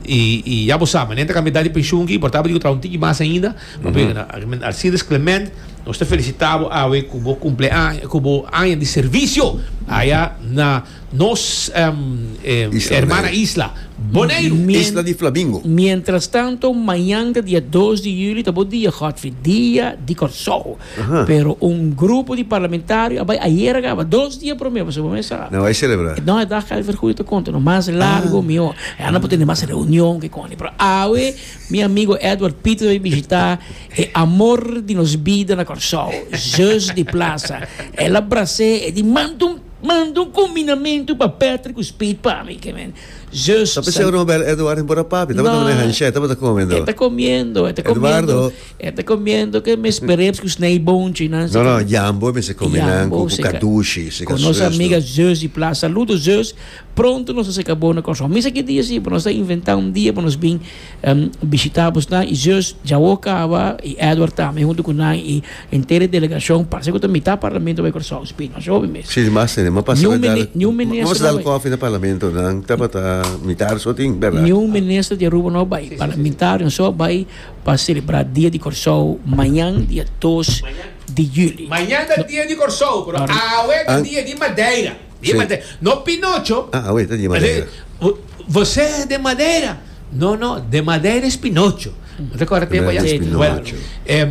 Y y ya bo sa manera ta cambia edad di pensioen aki y por tabata di cu traha un tiki mas ainda. Papia ke men Alcides Clement nos ta felicita bo awe cu bo cumpleaña cu bo aña di servicio aya na Nos hermana isla, Boneiru. Isla di Flamingo. Mientras tanto, mañanda dia dos di julio ta bo dia, Godfrey, dia di Kòrsou. Pero un grupo di parlamentario a bai ayer a kaba, dos dia promé, pasobra bo mester a. Nan bai selebrá. No, e dag Calvert Goede ta konta nos, mas largo mihó. E anda por tene mas reunion, kikòne. Pero awe mi amigo Edward Pieter ta bai bishitá e amor di nos bida na Kòrsou, Zus di Plaza. El a bras'é e di, Mantum! Manda un combinamento pa Patrick cu Speed pa mi, que men. Zus. Ta pensando no bel Eduardo en bora papi, ta bota han share, ta bota comiendo. Eta comiendo, eta comiendo. Eta comiendo que mes pereps cu snij bonchi nan. No no, jambo e mester comi nan cu cadushi. Con nos amiga Zus di Plas. Saludo Zus, pronto nos ta seca bo na Kòrsou. Misa ki dia si, bo nos ta inventa un dia pa nos bin. Em bishitá bos nan i zus Jawó Cava i Edward tambe huntu ku nan i entera e delegashon, parse ku ta mitá parlamento bai Kòrsou Spino. Asho hopi mes. Si, mas te nima pasá bai dal, Niun minister mos no dal bai. kòfi na parlamento nan tabata mitá arsotin, bèrdat? Niun minister di Aruba no bai. Parlamentarion so bai pa selebrá dia di Kòrsou mañan dia dos di juli. Mañan ta dia di Kòrsou, pero awe ta dia di Madeira. Di manera. No Pinocho. Ah, awey ta di Madeira. Así, Você é de Madeira? No, no, de Madeira es Pinocho. No te acorda tempo allá? Madeira es Bueno, Pinocho. em,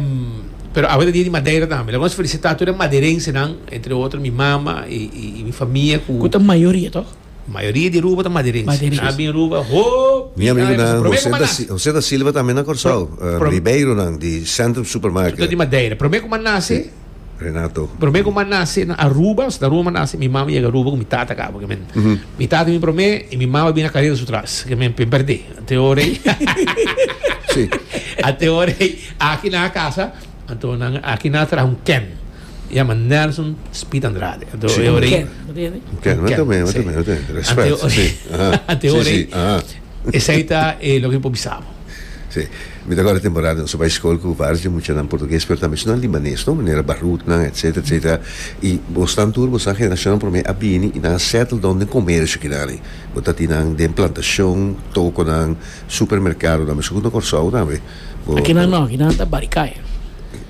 pero awey ta di di Madeira tambe. Lo vamos felicita tur e madeirensenan, entre otro mi mama y, y, y mi famia cu Cu ta mayoria, toch? mayoria di Aruba ta madeirense. Madeirense. Nan bin Aruba hopi. Mi amigo nan, Prome José da, kuman Si- nase. José da Silva tambe na Corsao. Pro- Eh, pro- Ribeironan di Centrum Tu ta di Supermarket. Madeira. Prome kuman nase? Renato. Prome ku ma nase na Aruba, Santa Ruma ma nase, mi mama yega Aruba ku mi tata kaba, ke men. Mi tata bin prome i mi mama bin na karera su tras, ke men bin perdé. Te ora ei, Si. a te ora ei, aki nan a kasa, anto nan, aki nan a traha un ken, yama Nelson Speed Andrade. Anto e ora ei, Ken, no te ende? Un ken, un ken, mete me, mete si. me, mete me. Respèt, Ante ora si. ei, Aha. a te Si, ora si, ei, aha. Esei ta e loke mi por bisa bo. Sí. Mi ta acorda temporada nos a bai scol cu vários muchanan portugues pero tambe esnan libanes, no? Manera Barutnan, etcetera, etcetera. Y bosnan tur, bosnan generacionnan prome a bini y nan a settle down den comercio kidarin. Bo ta tin nan den plantacion, toconan, supermercadonan, mesun cu na Corsou tambe. Bo. Akinan no, akinan nan ta Barikay.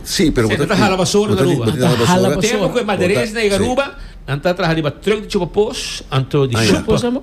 Sí, pero bo ta tin. Bo ta hala basora na Aruba. Bo ta tin, bo ta tin hala basora. Hala basora. Tempo cu e maderes na yega Aruba, nan ta traha riba truck di chupa pos, anto di shupa. Shupa, sa bo.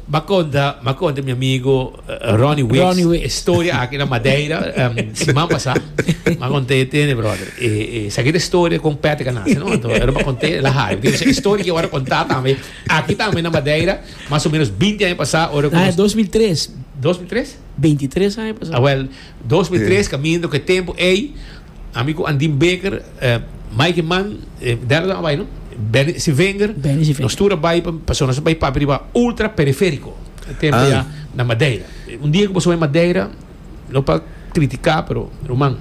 M'a conta, m'a conta mi amigo Ronnie Wicks, Ronnie Wicks. e storia aki na Madeira siman pasá. M'a conta e tene brother. E, e sa kit e storia con Patrick a nace, no? Anto Ero m'a conta e la hayo. Porque e storia ki awor contá tambe aki tambe na Madeira, mas o menos binti aña pasá, ora cu nos. Aña dos mil tres. Dos mil tres? Binti tres aña pasá. Awel, dos mil tres caminda cu e tempo ey. Ami cu Andin Baker, Mike Man, dera ta a bai no? Benny Sivenger. Benny Sivenger. Nos tur a bai pa, paso nos a bai papia riba ultra periférico. E tempo ya na Madeira. Un dia cu paso bai Madeira, no pa critica, pero ruman,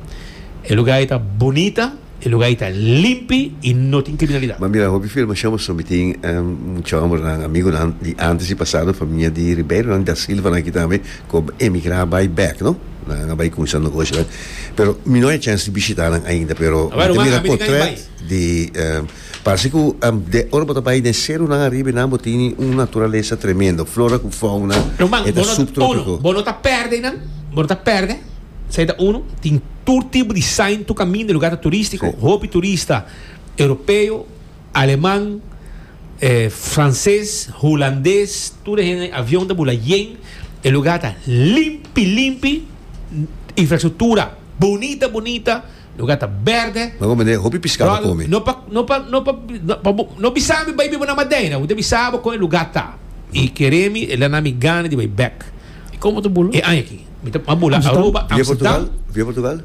e lugar ei ta bunita, e lugar ei ta limpi y no tin criminalidad. M'a mira hopi filmacion pasobra mi tin muchu hombernan, amigunan di antes y pasado, famia di Ribeironan, di Da Silvanan aki tambe. Cu emigra bay bek no. Nan a bay cuminsá negoshi bay. Pero mi no hay chance di bishita nan ainda pero mi ta mira potret di parse cu de ora bo ta bay den seru nan ariba y nan bo tin un naturalesa tremendo flora cu fauna e ta subtropico. Bo no ta perde nan bo no ta perde esai ta uno tin tur tipo di sign tur caminda e lugar ta turistico hopi turista europeo. Aleman, e frances, hulandes, tur e hende avion ta bula yen, e lugar ta limpi limpi, infrastructura bunita bunita, lugar ta berde. Nan ku bende hopi pisca pa come. No pa no pa no pa pa bo no bisa mi bai biba na Madeira, bo ta bisa bo kon e lugar ta. I kere mi e lana mi gana di bai bek. Komo ta bula? E aña aki mi ta a bula Aruba, Amsterdam. Via Portugal?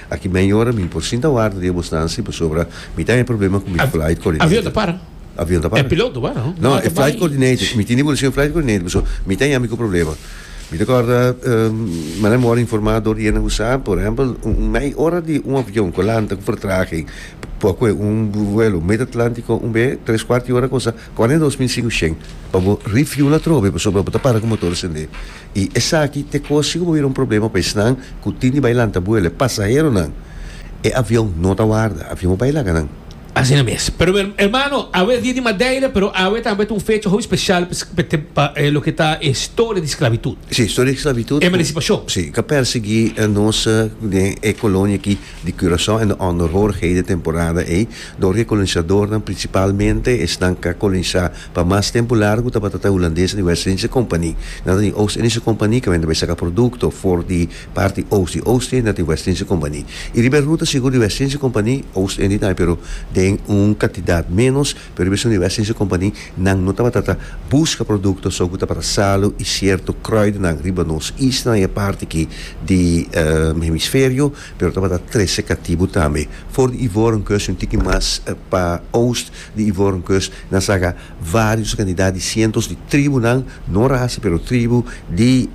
Aki mei ora mi por sinta warda di e bosnansi pasobra mi ta e problema ku mi flight coordinator. Avion ta para? Avion ta para. E piloto ta para? No, e flight coordinator. Mi tin di bulesin flight coordinator pasobra mi ta yami ku problema. Mi ta kòrda manda mi wòrdu informa dor di hende ku sa, por ehèmpel un mei ora di un avion ku a lanta ku vertraging por kue un vuelo mid-Atlántico un be tres kuart di ora kosta kòrda dos mil sinku shen pa bo refuel atrobe pasobra bo ta para ku motor sende. I esaki ta kos si ku bo bira un problema pa esnan ku tin di bai lanta buela, e pasaheronan. E avion no ta warda. Avion a bai laga nan. Asina mes. Pero mi hermano, awe es dia di Madeira, pero awe tambe ta un fecha hopi special pa e loke ta e historia di esclavitud. Si, historia di esclavitud. Emancipacion. Si, ta persegui nos den e colonia aki. di Curaçao en de onderhoorigheden temporada ey, door ke kolonisadornan, principalmente esnan ka kolonisa pa mas tempo largo tabata ta Hulandes di West Indische Compagnie. Nan ta di Oost Indische Compagnie ke wende bay saka producto for di parti Oost di Oost Indië nati West Indische Compagnie. Y riba e ruta sigur di West Indische Compagnie, Oost Indië tambe pero den un cantidad menos. Pero bisto riba e seis e kompani nan no tabata ta buska produkto so ku tabata salu i sierto krùidenan riba nos isla na e parti aki di hemisferio, pero tabata trese katibu tambe. For di Ivorenkust i un tiki mas pa oust di Ivorenkust nan saka vários kantidat di sientos di tribunan, no rasa pero tribu, di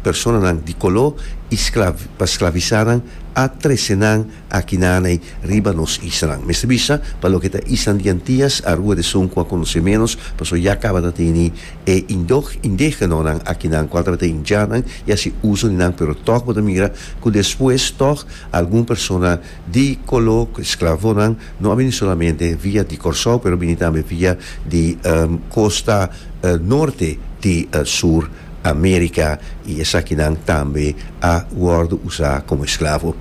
personanan di koló i pa sklavisá nan a trese nan. Akinaney riba nos isanan. Mester bisa pa loke ta isan di Antias a rua desun cu a conoce menos pasobra ya caba ta tene e indog indegenanan akinan cual tabata indianan y haci uzo di nan pero tog bo ta mira cu despues tog algun persona di colo cu esclavonan no a bini solamente via di Corsou pero bini tambe via di costa norte di sur America y esakinan tambe a wordo usa como esclavo.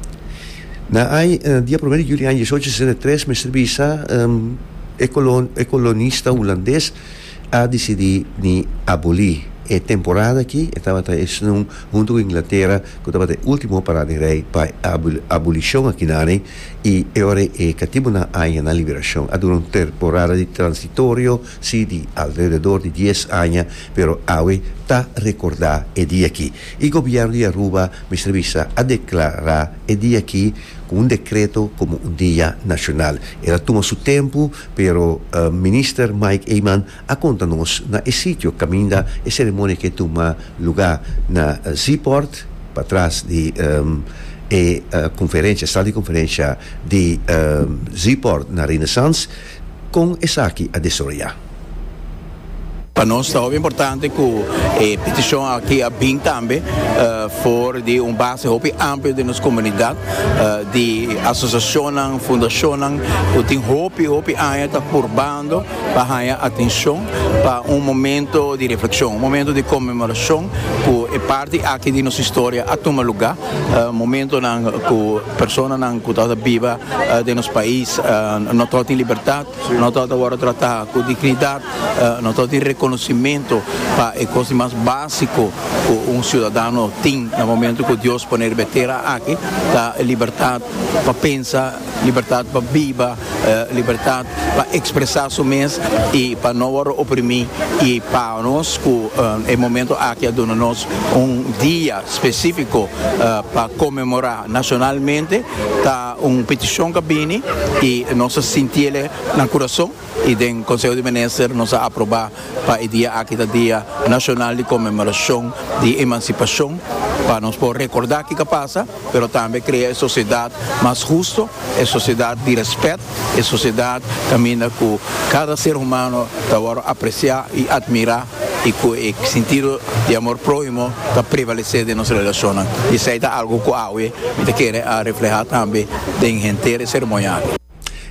Na ay dia primer di juli aña diesocho sesenta i tres mester bisa e colon e colonista Hulandes a decidi di aboli e temporada aki e tabata esnun hunto cu Inglatera cu tabata e ultimo para den rey pa e abolicion akinane y e ora e catibonan añanan liberacion a dura un temporada di transitorio si di alrededor di dies aña, pero awe ta rekordá e dia akí. E gobièrnu di Aruba, Mister Bisa, a deklará e dia akí ku un dekreto komo un dia nashonal. El a tuma su tempu, pero Minister Mike Eman a konta nos na e sitio kaminda e seremonia ke tuma lugá na Zeeport, patras di e konferensha, sal di konferensha di Zeeport na Renaissance. Kon esaki a desoroyá? Pa nos ta hopi importante ku e petishon aki a bin tambe for di un base hopi amplio den nos komunidat di asosiashonnan, fundashonnan ku tin hopi, hopi aña ta purbando pa haña atenshon pa un momento di reflekshon, un momento di konmemorashon ku e parti aki di nos historia a tuma lugá, momentonan ku. Personanan ku tabata biba den nos pais no tabata tin libertat, no tabata wòrdu tratá ku dignidat, no tabata tin rekonosimentu pa e kos di mas básiko ku un siudadano tin na momentu ku Dios poner be tera aki, ta libertat pa pensa, libertat pa biba. libertat pa expresa su mes y pa no worde oprimi y pa nos cu e momento aki a duna nos un dia specifico pa conmemora nacionalmente ta un peticion ca bini y nos a sinti ele na curason y den conseho di minister nos a aproba pa e dia aki ta dia nacional di conmemoracion di emancipacion pa nos por recorda kico a pasa. pero tambe krea e sosiedat mas husto, e sosiedat di rèspèt, e sosiedat kaminda ku kada ser humano ta wòrdu apresiá i atmirá i ku e sintido di amor próhimo ta prevalesé den nos relashonnan. I esei ta algu ku awe mi ta kere a reflehá tambe den henter e seremonianan.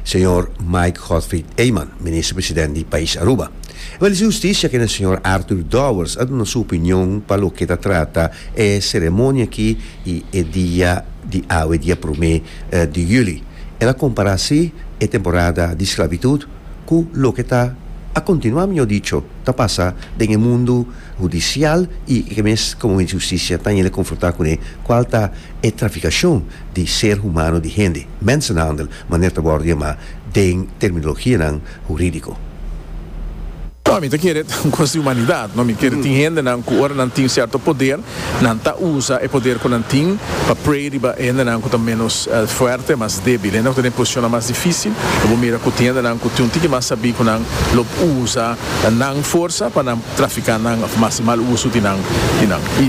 señor Mike Godfried Eman, Minister President di pais Aruba. E Minister di Husticia kende señor Arthur Dowers a duna su opinion pa loke ta trata e ceremonia aki y e dia di awe dia prome di juli. El a compara así e temporada di sclavitud cu loke ta a continua mejor dicho ta pasa den e mundo judicial y e mes como Minister di Husticia ta yende confronta cune cual ta e traficacion di ser humano di hende. Mensenhandel, manera ta worde yama den terminologianan huridico. No, mi ta kere ta un cosa di humanidad, no, mi kere tin hendenan cu ora nan tin cierto poder, nan ta usa e poder cu nan tin pa prey riba hendenan cu ta menos fuerte, mas debil, hendenan cu ta den posicionnan mas dificil, y bo mira cu tin hendenan cu tin un tiki mas sabi cu nan lo usa nan forsa pa nan trafica nan of haci mal uso di nan,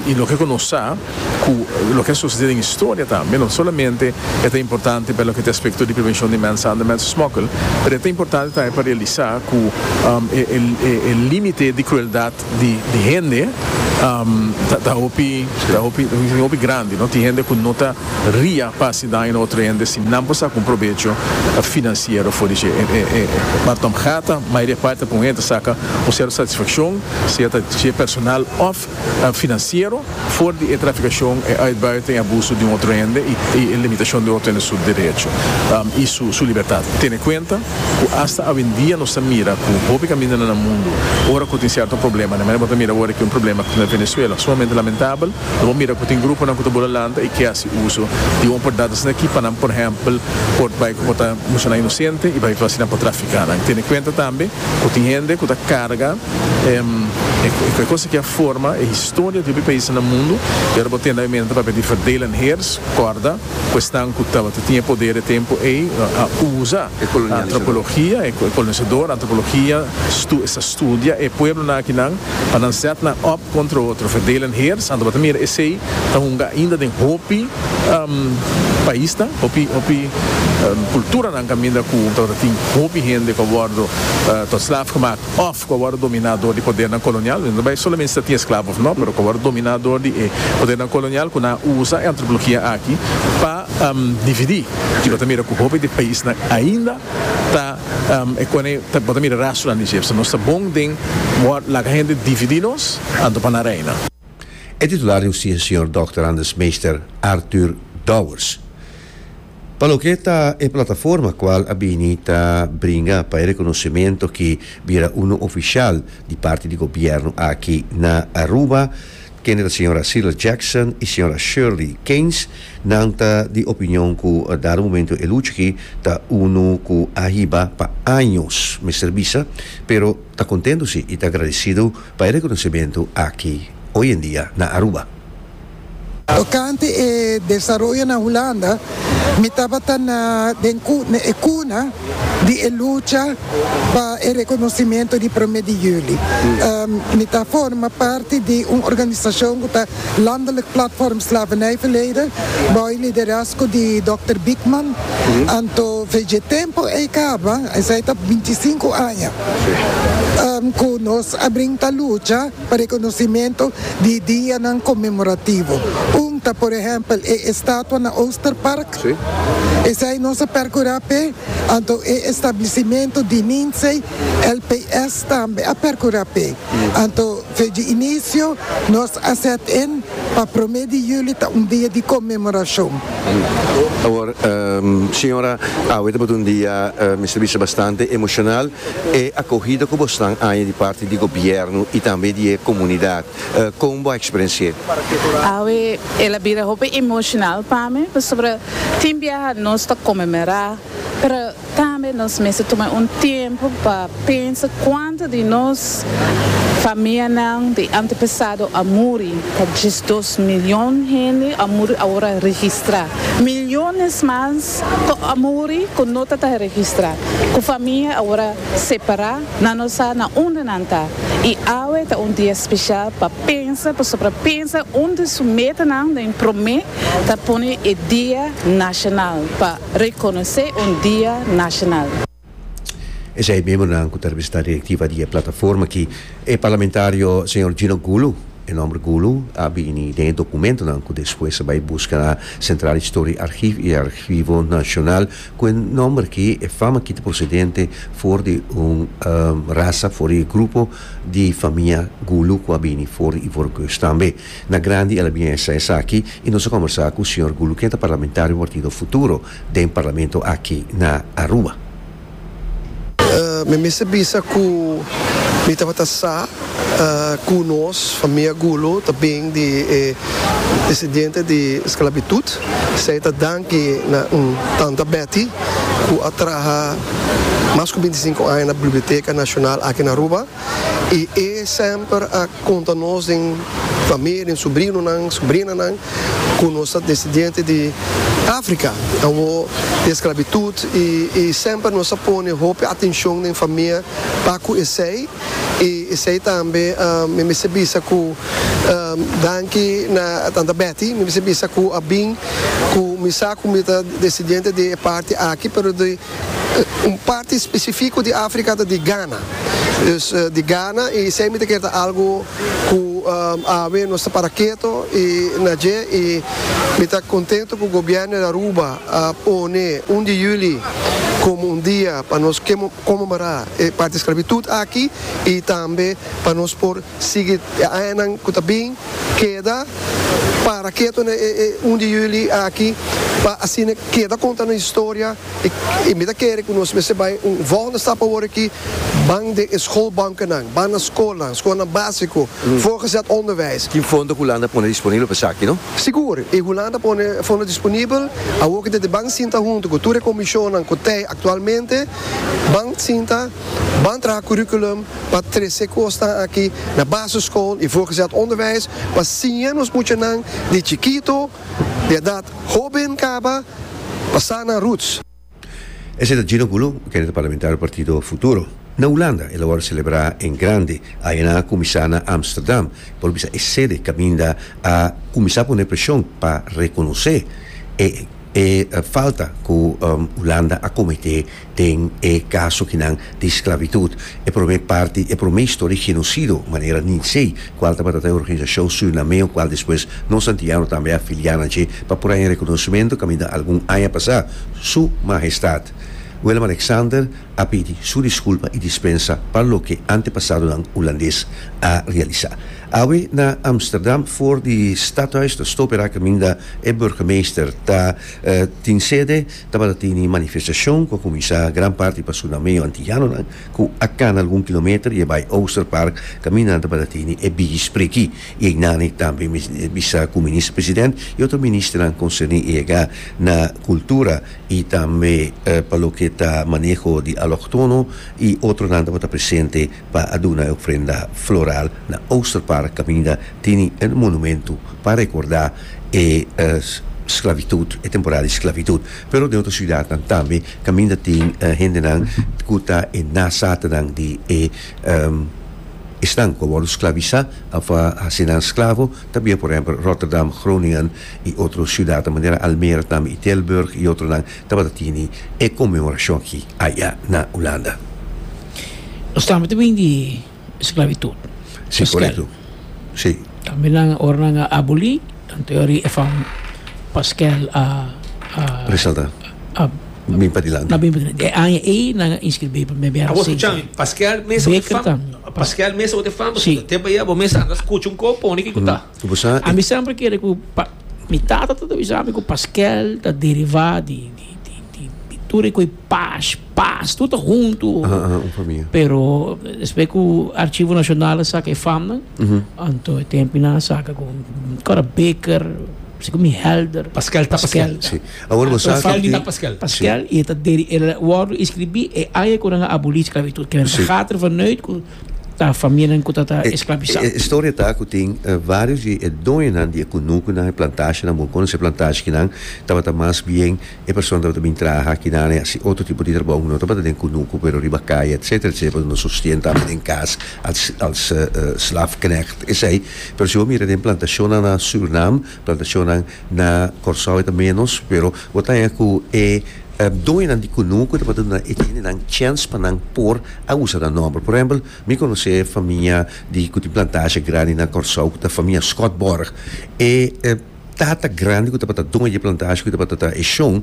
y loke cu nos sa. cu loke a sucede den historia tambe, no solamente e ta importante pa loke ta aspecto di prevencion di mensander, mensesmokkel, pero e ta importante tambe pa realisa cu e limite di crueldad di hende ta hopi ta hopi grandi, tin hende cu no ta ria pa haci daño na otro hende si nan por saca un probecho financiero for di dje. Martomgata mayoria parti ta pon hende ta saca un cierto satisfaccion, sea ta dje personal of Financiero, for di e traficacion, e uitbuiten, e abuso di un otro hende y e limitacion di otro hende su derecho y su libertad. Tene cuenta cu hasta awendia nos ta mira cu hopi caminda na nan mundo, ora cu tin cierto problema, de manera bo ta mira awor aki un problema cu tin na Venezuela, sumamente lamentable, lo bo mira cu tin gruponan cu ta bula lanta y ke haci uso di un oportunidad asina aki pa nan, por ehempel, por bay como ta muchanan inocente y bay ta haci nan por trafica nan. Tene cuenta tambe cu tin hende cu ta carga. E cosa ki a forma e historia di hopi paisnan na mundu, y ora bo tende a menta papia di verdeelen heers, corda cu esnan cu tabata tin e poder e tempo ey a uza antropologia, e colonisador, antropologia, stu, esta studia e pueblonan akinan pa nan zet nan op contra otro, verdeelen heers, anto bo ta mira esey ta hunga ainda den hopi paisnan, hopi, hopi culturanan caminda cu tabata tin hopi hende cu a wordo tot slaaf gemaakt. òf ku a wòrdu dominá dor di podernan kolonial, nos no ta bai solamente si ta tin esklavo òf nò, pero ku a wòrdu dominá dor di e podernan kolonial ku nan a usa e antropologia aki pa dividí. I bo ta mira ku hopi di paisnan ainda ta e kone, bo ta mira rastronan di dje. Pasobra nos ta bon den wòrdu, laga hende dividí nos, anto pa nan reina. E titular di Ucin Sr. Dòkter Anders Meester Arthur Douwers pa loke ta e plataforma kual a bini ta bringa pa e rekonosementu ki bira uno ofishal di parti di gobièrnu aki na Aruba kende ta Sra. Cyril Jackson i Sra. Shirley Keynes nan ta di opinion ku dado momentu e lucha aki ta uno ku a hiba pa años mester bisa pero ta kontentu si i ta agradesidu Pa e reconocimentu aki hoy en dia na Aruba. Tocante e desaroyo na Hulanda, mi tabata na den e cuna di e lucha pa e reconocimentu di Prome di Juli. Mi ta forma parti di un organisacion cu ta Landelijk Platform Slavernijverleden, bou e liderazgo di Dòkter Bickman, anto veje tempu ei kaba, esei ta binti i sinku aña ku nos a bring ta lucha pa rekonosimentu di dianan konmemorativo. Un ta por ehèmpel e estatua na Oosterpark, esei nos a perkurá p'e, anto e establisimentu di Ninzei LPS tambe a perkurá p'e, anto. Dje inicio nos a set in pa prome di juli ta un dia di conmemoracion. Awor, señora, awe tabata un dia, mester a bisa, bastante emocional. E acogida cu bosnan aña di parti di gobierno y tambe di e comunidad, con bo a experenci'e? Awe el a bira hopi emocional pa mi, pasobra tin biaha nos ta conmemora pero tambe nos mester tuma un tiempo pa pensa cuanto di nos famianan di antepasado a muri, ta djes dos milion hende a muri awora registra, miliones mas cu a muri cu no ta ta registra, cu famia awora separa, nan no sa na unda nan ta y awe ta un dia special pa pensa pasobra pensa un di su metanan den prome ta pone e dia nacional pa. Reconoce un dia nacional. Esei memonan cu ta representa directiva di e plataforma aki, e parlamentario señor Gino Gulu, e nomber Gulu a bini den e documentonan cu despues a bay busca na Centraal Historie Archief y Archivo Nacional, cu e nomber aki, e fama aki ta procedente for di un raza, for di e grupo di famia Gulu cu a bini for di Ivoorkust tambe. Na grandi el a bin a hesai esaki y nos a combersa cu señor Gulu ken ta parlamentario partido Futuro den parlamento aki na Aruba. Mi a mester bisa cu mi tabata sa cu nos, famia Gulu, ta bin di e descendiente di sclabitud. Esey ta danki na Tanta Betty cu a traha mas cu binticinco aña na Biblioteca Nacional aki na Aruba. I e semper a konta nos den famia, den subrinonan, subrinanan, ku nos ta desidiente di Afrika, awo di esklabitut, i i semper nos a pone hopi atenshon den famia pa ku esei, i esei tambe mi mester bisa ku danki na tanta Betty, mi mester bisa ku a bin ku mi sa ku mi ta desidiente di e parti aki, pero di. Un parti spesifiko di Afrika ta di Gana. Dus di Gana i esei mi ta kere ta algu ku awe nos ta para keto i na dje i mi ta kontentu ku gobièrnu di Aruba a pone un di yuli komo un dia pa nos komemorar e parti sklabitut aki i tambe pa nos por Sigui e añanan ku ta bin, keda para ketu na e un di yuli aki pa asina keda konta nos historia i mi ta kere ku nos mester bai un volgende stap awor aki, ban den e skolbankennan, ban na skolnan, skolnan básiko, voorgezet onderwijs. Tin fondo ku Hulanda pone disponibel pa esaki, no? Sigur, i Hulanda pone fondo disponibel, awor ku ta di ban sinta huntu ku tur e komishonnan ku tei aktualmente, ban sinta. Ban traha curriculum pa trece cosnan aki na basisschool y voorgezet onderwijs pa siña nos muchanan di chikito, di edad hoben caba, pa sa nan roots. Esei ta Gino Gulu, kende ta parlamentario partido Futuro. Na Hulanda el a wòrdu selebrá en grandi, ayana kuminsá na Amsterdam, por bisa e sede kaminda a kuminsá pone preshon pa rekonosé e. E falta ku Hulanda a kometé den e kaso kinan di sklabitut, e promé parti, e promé historia genosido manera Ninsee, kual tabata ta e organisashon surinameo kual despues nos antiano tambe a filiá nan dje pa por haña rekonosementu kaminda algun aña pasá, Su Mahestat Willem-Alexander a pidi su diskulpa i dispensa pa loke antepasadonan Hulandes a realisá. Awe na Amsterdam for di Stadhuis ta stope raka minda E burgemeester ta tin sede tabata tini manifestacion cu a cuminsa gran parti pa su nameo antillanonan cu a cana algun kilometer y a bay Ooster Park, caminda nan tabata tini e bigi spreki y eynani tambe bisa cu minister president y otro ministernan concerni eyega na cultura y tambe pa loke ta maneho di aloctono y otronan tabata presente. pa a duna e ofrenda floral na Oosterpark kaminda tini e monumentu pa rekordá e sklabitut, e temporada di sklabitut. Pero den otro siudatnan tambe kaminda tin hendenan ku ta e nazatenan di e esnan ku a wòrdu sklabisá òf a hasi nan sklavo ta bia, por ehèmpel, Rotterdam, Groningen i otro siudatnan manera Almere tambe i Tilburg i otronan. Tabata tene e conmemorashon aki aya na Hulanda. Nos tabata bin di esclavitud. Si, corecto. Si. Tambe nan ora nan a aboli, anto yo a ri e fam Paskel a a. Resalta. A. Bin pa dilanti. A bin pa dilanti. E aña ey nan a inscribi pa meme a reciente. Abo scucha, Paskel mes ot e fam. Beker tambe. Paskel mes ot e fam. Si. Tempo ey abo mes a andas scucha un cor pone kico ta. Ami semper kere ku pa mi tata ta ta bisa mi ku paskel ta derivá di di tur e ku e paz, paz, tur ta huntu, pero despues ku Archivo Nacional a saka e famnan, anto e tempunan a saka ku Cora Beker, si ku mi Helder, Paskel ta paskel, si, awor bo sa ki ta paskel, paskel i e ta deri e wòrdu e skribí e aña ku nan a abolí sklavitud, kende ta gata ervan uit ku. Ta famianan ku ta ta esklabisá. E historia ta ku tin varios di e doñonan di e kunukunan, e plantashanan, bo konosi e plantashinan, tabata mas bien e persona tabata bin traha kinan e hasi otro tipo di trabou, no tabata den kunuku pero riba kaya etsetera etsetera pasobra nan sostien ta den kas als als slafknecht. Esei. Pero si bo mira den plantashonnan na Surinam Plantacionnan na Corsou eta menos pero bo ta haña cu e doñonan di cunu cu tabata duna e gentenan chens pa nan por a usa nan nomber. Por ehempel, mi conoce famia di cu tin plantashi grandi na Corsou cu ta famia Scott Borg. E tata grandi cu tabata doño di e plantashi cu tabata ta e Shon,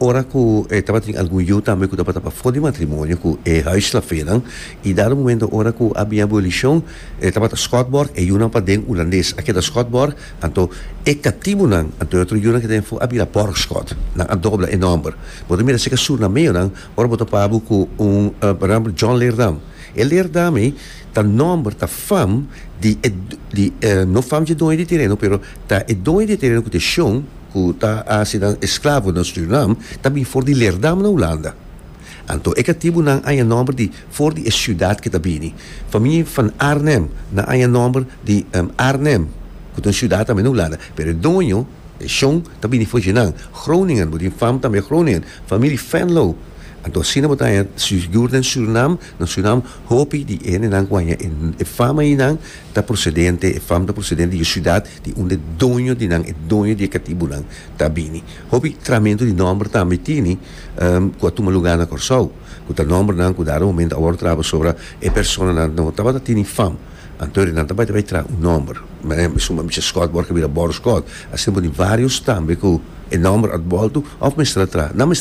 Ora ku e tabatin algun yu tambe ku tabata pafó di matrimonio ku e huisslafenan i dado momento ora ku a bin abolishon e tabata Schotborgh e yunan paden Ulandes a keda Schotborgh anto e katibunan anto e otro yunan ku ta den for a bira Borgschot nan a dobla e nòmber bo ta mira seka surnameonan ora bo topa bo ku un porèmpel John Leerdam e Leerdam ei ta nòmber ta fam di e di no fam dje doño di tereno pero ta e doño di e tereno ku ta e shon. ku ta hasi nan esklavo na Surinam ta bin for di Leerdam na Hulanda. Anto e katibunan aña nòmber di for di e siudat ke ta bini. Famie Van Arnhem nan aña nòmber di Arnhem, ku ta un siudat tambe na Hulanda, pero e doño, e shon, ta bini for dje nan. Groningen, bo tin fam tambe Groningen, Familie Venlo. Anto asina bo ta haña sigur den Surinam, na Surinam, hopi di hendenan ku haña e fam ayinan, ta procedente, e fam ta procedente di e ciudad di unda e doño di nan, e doño di e catibonan ta bini. Hopi tramentu di nomber tambe tini cu a tuma lugar na Corsou, cu ta nombernan cu dado momento a wordotraba sobra e personanan no tabata tini fam, anto e nan ta bai ta bai traha un nomber, e suma Michel Scott word a bira Boro Scott, asina por di varios tambe cu e nomber a bolto of mester a traha, nan mester a.